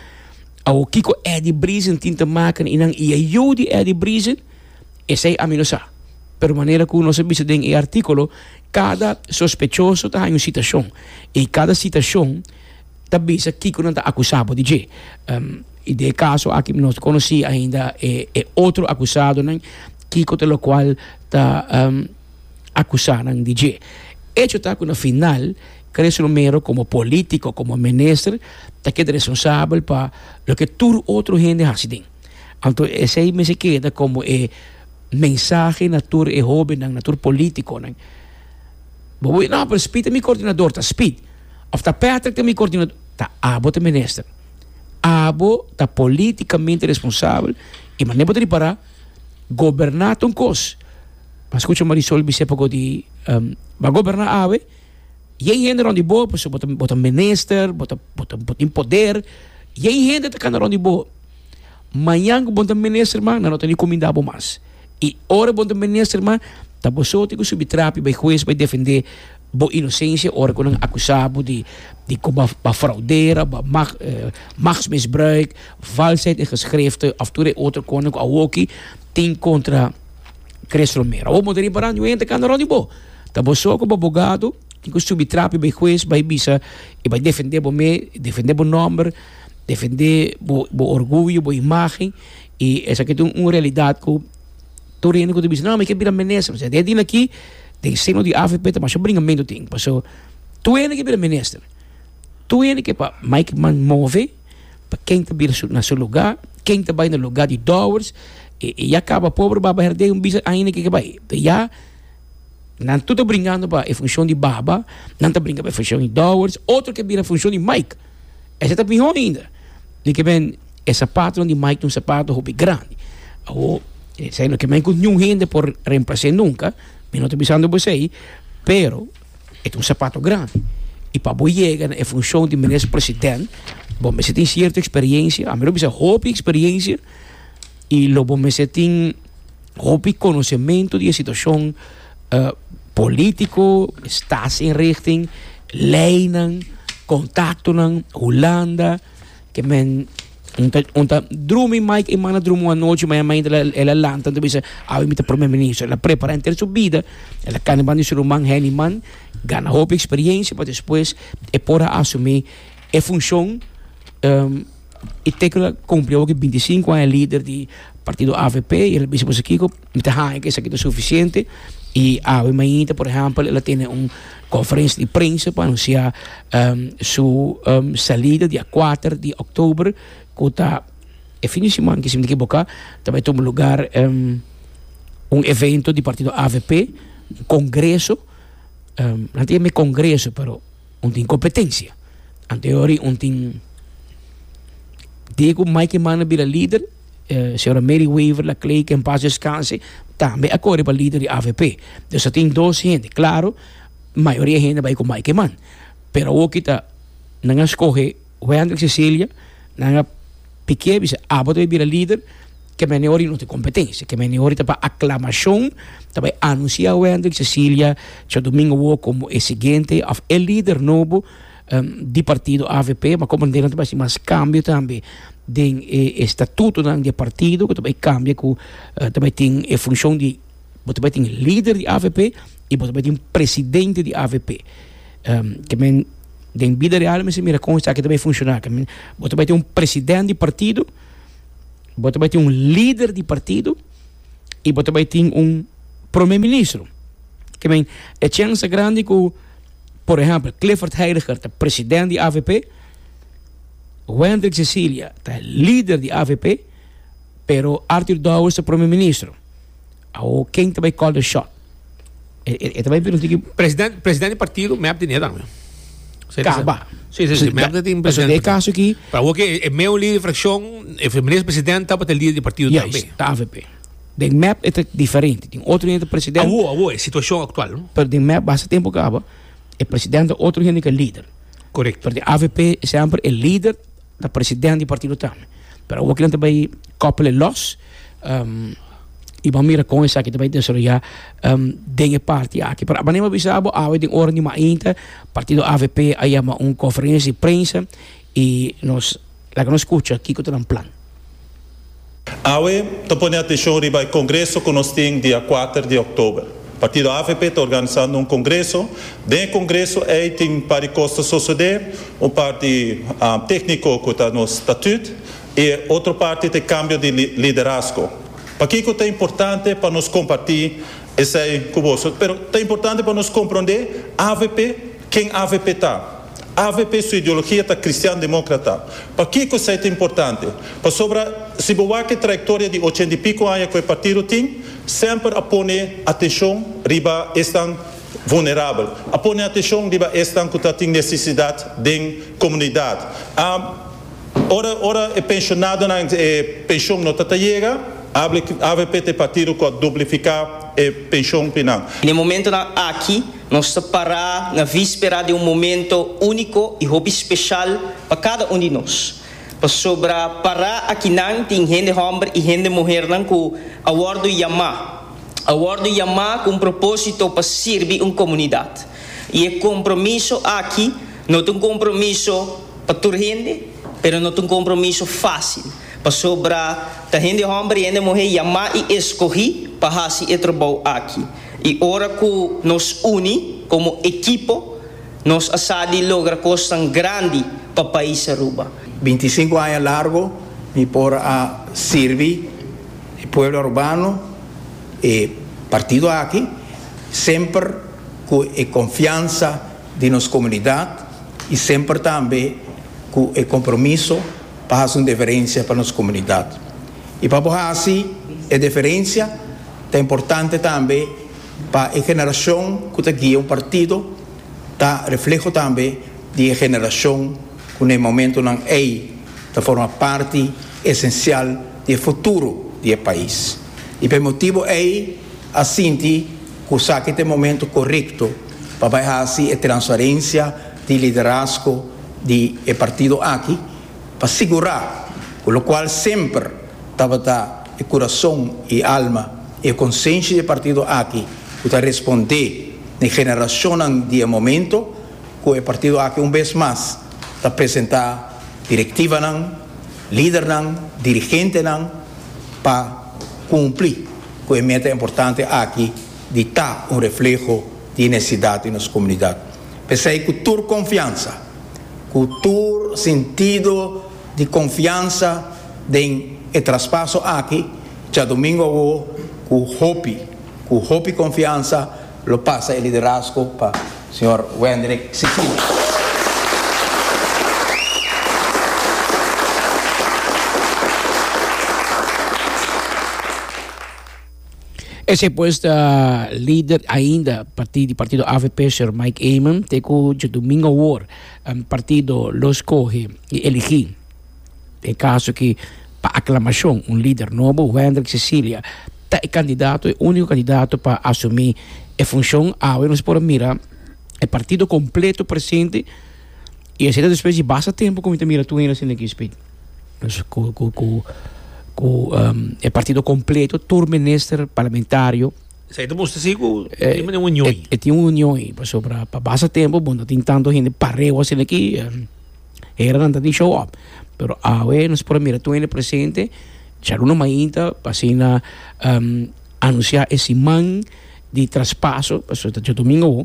Awo Kiko Eddie Brisen tin te maken y nan iya yo di Eddie Brisen, esai ami no sa. Pero manera cu nos a bisa den e articulo, cada sospechoso ta haña un citacion y cada citacion ta bisa kiko nan ta akusá bo di dje. I den e kaso aki mi no ta konosí ainda e otro akusadonan kiko ta lokual ta akusá nan di dje. Echo ta ku na final Carrizo Romero komo polítiko, komo minister, ta keda responsabel pa loke tur otro hende hasi den. Anto esei mester keda komo e mensahe na tur e hóbennan, na tur polítikonan. Bo por di, No, pero Speed ta mi koordinador. Ta Speed. Of ta Patrick ta mi coordinador? Ta abo ta minister. Abo ta politicamente responsabel y mane bo ta ripara goberna ta un cos pa scucha Marisol bisey pago di ba goberna awe y e hende rond di bo pasobra bo ta bo ta minister bo ta bo ta bo tin poder y e hende ta cana rond di bo mañan cu bo ta minister mas nan no ta recominda bo mas y ora bo ta minister mas ta bosote cu subi trapi bay huez bay defende Bo inosensia ora ku nan akusa bo di di ku bo a fraudera, bo a mag machtsmisbruik, valsheid in geskrifte of tur e otro kosnan ku awoki tin kontra Chris Romero. Awor bo ta riba Randy, bo henter kanda Randy bo ta bo so ku bo abogado tin ku subi trapi bay hues bay bisa i bay defende bo me, defende bo nomber, defende bo orguyo, bo imagen i esaki ta un realidad ku. Tur hende ku ta bisa, No, mi ke bira minister. Pasobra den tin aki, den seno di avp ta masha bringamentu tin. Paso, tur hende ke bira minister. Tur hende ke pa Mike Mann move, pa ken ta bira na su luga, ken ta bai na luga di Dowers, e ya kaba pober Baba Herdey un bisa ainda ke ke bai. Te ya, nan tur ta bringando pa e funshon di Baba, nan ta bringa pa e funshon di Dowers, otro ke bira funshon di Mike. Esei ta mihó ainda. Ni ke men e sapatonan di Mike ta un sapato hopi grandi. Awor, esei no ke men ku niun hende por remplase nunka, mi no ta bisando bo esei, pero e ta un sapato grandi. I pa bo yega na e funshon di Minister President, bo mester tin sierto eksperiensia, a mero bisa hopi eksperiensia, I lo bo mester tin hopi konosementu di e situashon polítiko, staatsinrichting, leinan, kontaktonan, Hulanda, ke men un ta un ta drumi Mike Eman a drumi un anochi mayamiente el a lanta un ta bisa awe mi ta Prome Minister el a prepara henter su bida el a kanda banda di su ruman Henny Man gana hopi eksperensia pa despues e por a asumi e funshon. E tecla cumpli awoke binti sinku aña lider di partido avp y el a bisa boso kiko mi ta haña cu esaki ta suficiente y awe mainta por ehempel el a tene un conferencia di prensa pa anuncia su salida dia cuater di october cu ta e fin di siman si mi no ekiboka ta bay tuma lugar un evento di partido avp un congreso nan ta yama congreso pero. Un tin kompetensia. Anteriori un tin Diego Mikey Manne bira lider, señora Mary Weaver Laclay ke en pas deskanse tambe a kore pa lider di avp. Dus a tin dos hende. Klaro mayoria hende bai ku Mikey Manne pero awor kita nan a skohe. Wendrick Cecilia nan a pikié bisa abo ta bai bira lider ke mene ora y no tin competencia ke mene ora ta pa aclamacion ta bai anuncia Wendrick Cecilia cho domingo awo como e siguiente of e lider nobo di partido avp ma como nan ta bai haci mas cambio tambe den e statuto nan di e partido ku ta bai cambia ku ta bai tin e funcion di bo ta bai tin lider di avp y bo ta bai tin presidente di avp ke men Den bida real mester mira kon esaki ta bay funciona. Bo ta bay tin un president di partido, bo ta bay tin un lider di partido y bo ta bay tin un prome ministro. I mean e chance grandi cu por ehempel Clifford Heidiger ta president di avp, Wendrick Cecilia ta lider di avp pero Arthur Dowers ta prome ministro. Awo ken ta bai call the shot? E, e, e ta bai bira tiki President, president di partido, mep di neda. Sí, kaba. Sí, sí, sí, mep di tin Paso president. de caso aquí, Pa wo ke e meu líder fracción, e minister president tapa te líder di partido tambe. juist, ta AVP. Den mep e ta diferente. Tin otro hende ta president, Awo, awo, e situación actual. pero den mep basta tempo kaba, e president ta otro hende ke líder. Correcto. Pero den AVP, semper e líder Ta president di partido tambe. Pero awo kilen ta bay koppele los y bo mira kon esaki ta bay desaroya den e parti aki. Pero aba neba bisa bo awe den ora di mainta partido avp a yama un conferencia di prensa y nos laga nos scucha kiko ta nan plan. Awe ta pone atenshon riba e kongreso ku nos tin dia kuater di òktober. Partido avp ta organisando un kongreso. Den e kongreso ei tin un par di kos ta sosodé, un parti tékniko ku ta nos statüt i e otro parti ta e kambio di liderasko. Pakiko ta importante pa nos kompartí esei ku boso? Pero ta importante pa nos komprondé avp Ken avp ta? Avp su ideologia ta cristian democrata. Pakico esai ta importante? Pasobra si bo wak e trayectoria di ochenta y pico aña cu e partido tin, semper a pone atencion riba esnan vulnerabel, a pone atencion riba esnan cu ta tin necesidad den comunidad. A Ora ora e pensionadonan e pension no ta ta yega, avp ta e partido cu a duplifica e pension pi nan. Na e momentonan aki Nos ta pará na víspera den un momento úniko i hopi speshal pa kada un di nos, pasobra pará akinan tin hende hòmber i hende muhernan ku a wòrdu yamá, a wòrdu yamá ku un propósito pa sirbi un komunidat. I e kompromiso aki no ta un kompromiso pa tur hende, pero no ta un kompromiso fásil, pasobra ta hende hòmber i hende muhé yamá i eskohí pa hasi e trabou aki. I ora ku nos uni komo ekipo, nos a sa di logra kosnan grandi pa pais Aruba. Binti i sinku aña largu mi por a sirbi e pueblo arubano, e partido aki, semper ku e konfiansa di nos komunidat i semper tambe ku e kompromiso pa hasi un diferensia pa nos komunidat. I pa bo hasi e diferensia ta importante tambe pa e generashon ku ta guia un partido ta refleho tambe di e generashon ku na e momentunan ei ta forma parti esensial di e futuro di e pais. I pa e motibu ei a sinti ku esaki ta e momento korekto pa bai hasi e transferensia di liderazgo di e partido aki, pa sigurá ku lokual semper tabata e kurason, e alma i e konsenshi di e partido aki ku ta respondé na e generashonnan di e momentu ku e partido aki un bes mas ta presentá direktivanan, lidernan, dirigentenan pa kumpli ku e meta importante aki di ta un refleho di e nesesidat di nos komunidat. P'esei ku tur konfiansa. cu tur sintido di confiansa den e traspaso aki djadomingo awo cu hopi, cu hopi confiansa lo pasa e liderazgo pa Sr. Wendrick Sicilia. Esei pues ta lider ainda parti di partido avp, señor Mike Eman, te cu djodomingo awor partido lo scoge y eligi, e caso ki pa aclamacion, un lider nobo, Wendrick Cecilia, ta e candidato, e unico candidato pa asumi e funcion. Awe nos por a mira e partido completo presente. I asina despues di basta tempu ku mi ta mira tur hende asina ki spit. Dus ku ku ku ku um, e partido kompleto, tur minister, parlamentario, Sa ita musta si ku e tin un union. e, e tin un union i pasobra pa basta tempu bon ta tin tantu hende pareu asina ki um, heranan ta tin show up. Pero awe nos por a mira tur hende presente dja luna mainta pa asina um, anunsiá e siman di traspaso, pasobra ta djadomingo awo.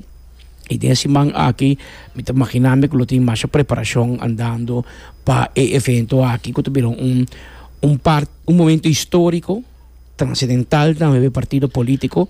I den e siman aki mi ta maginambe ku lo tin masha preparashon andando pa e evento aki ku ta bira un un par un momento historiko transidental tambe pa e partido politiko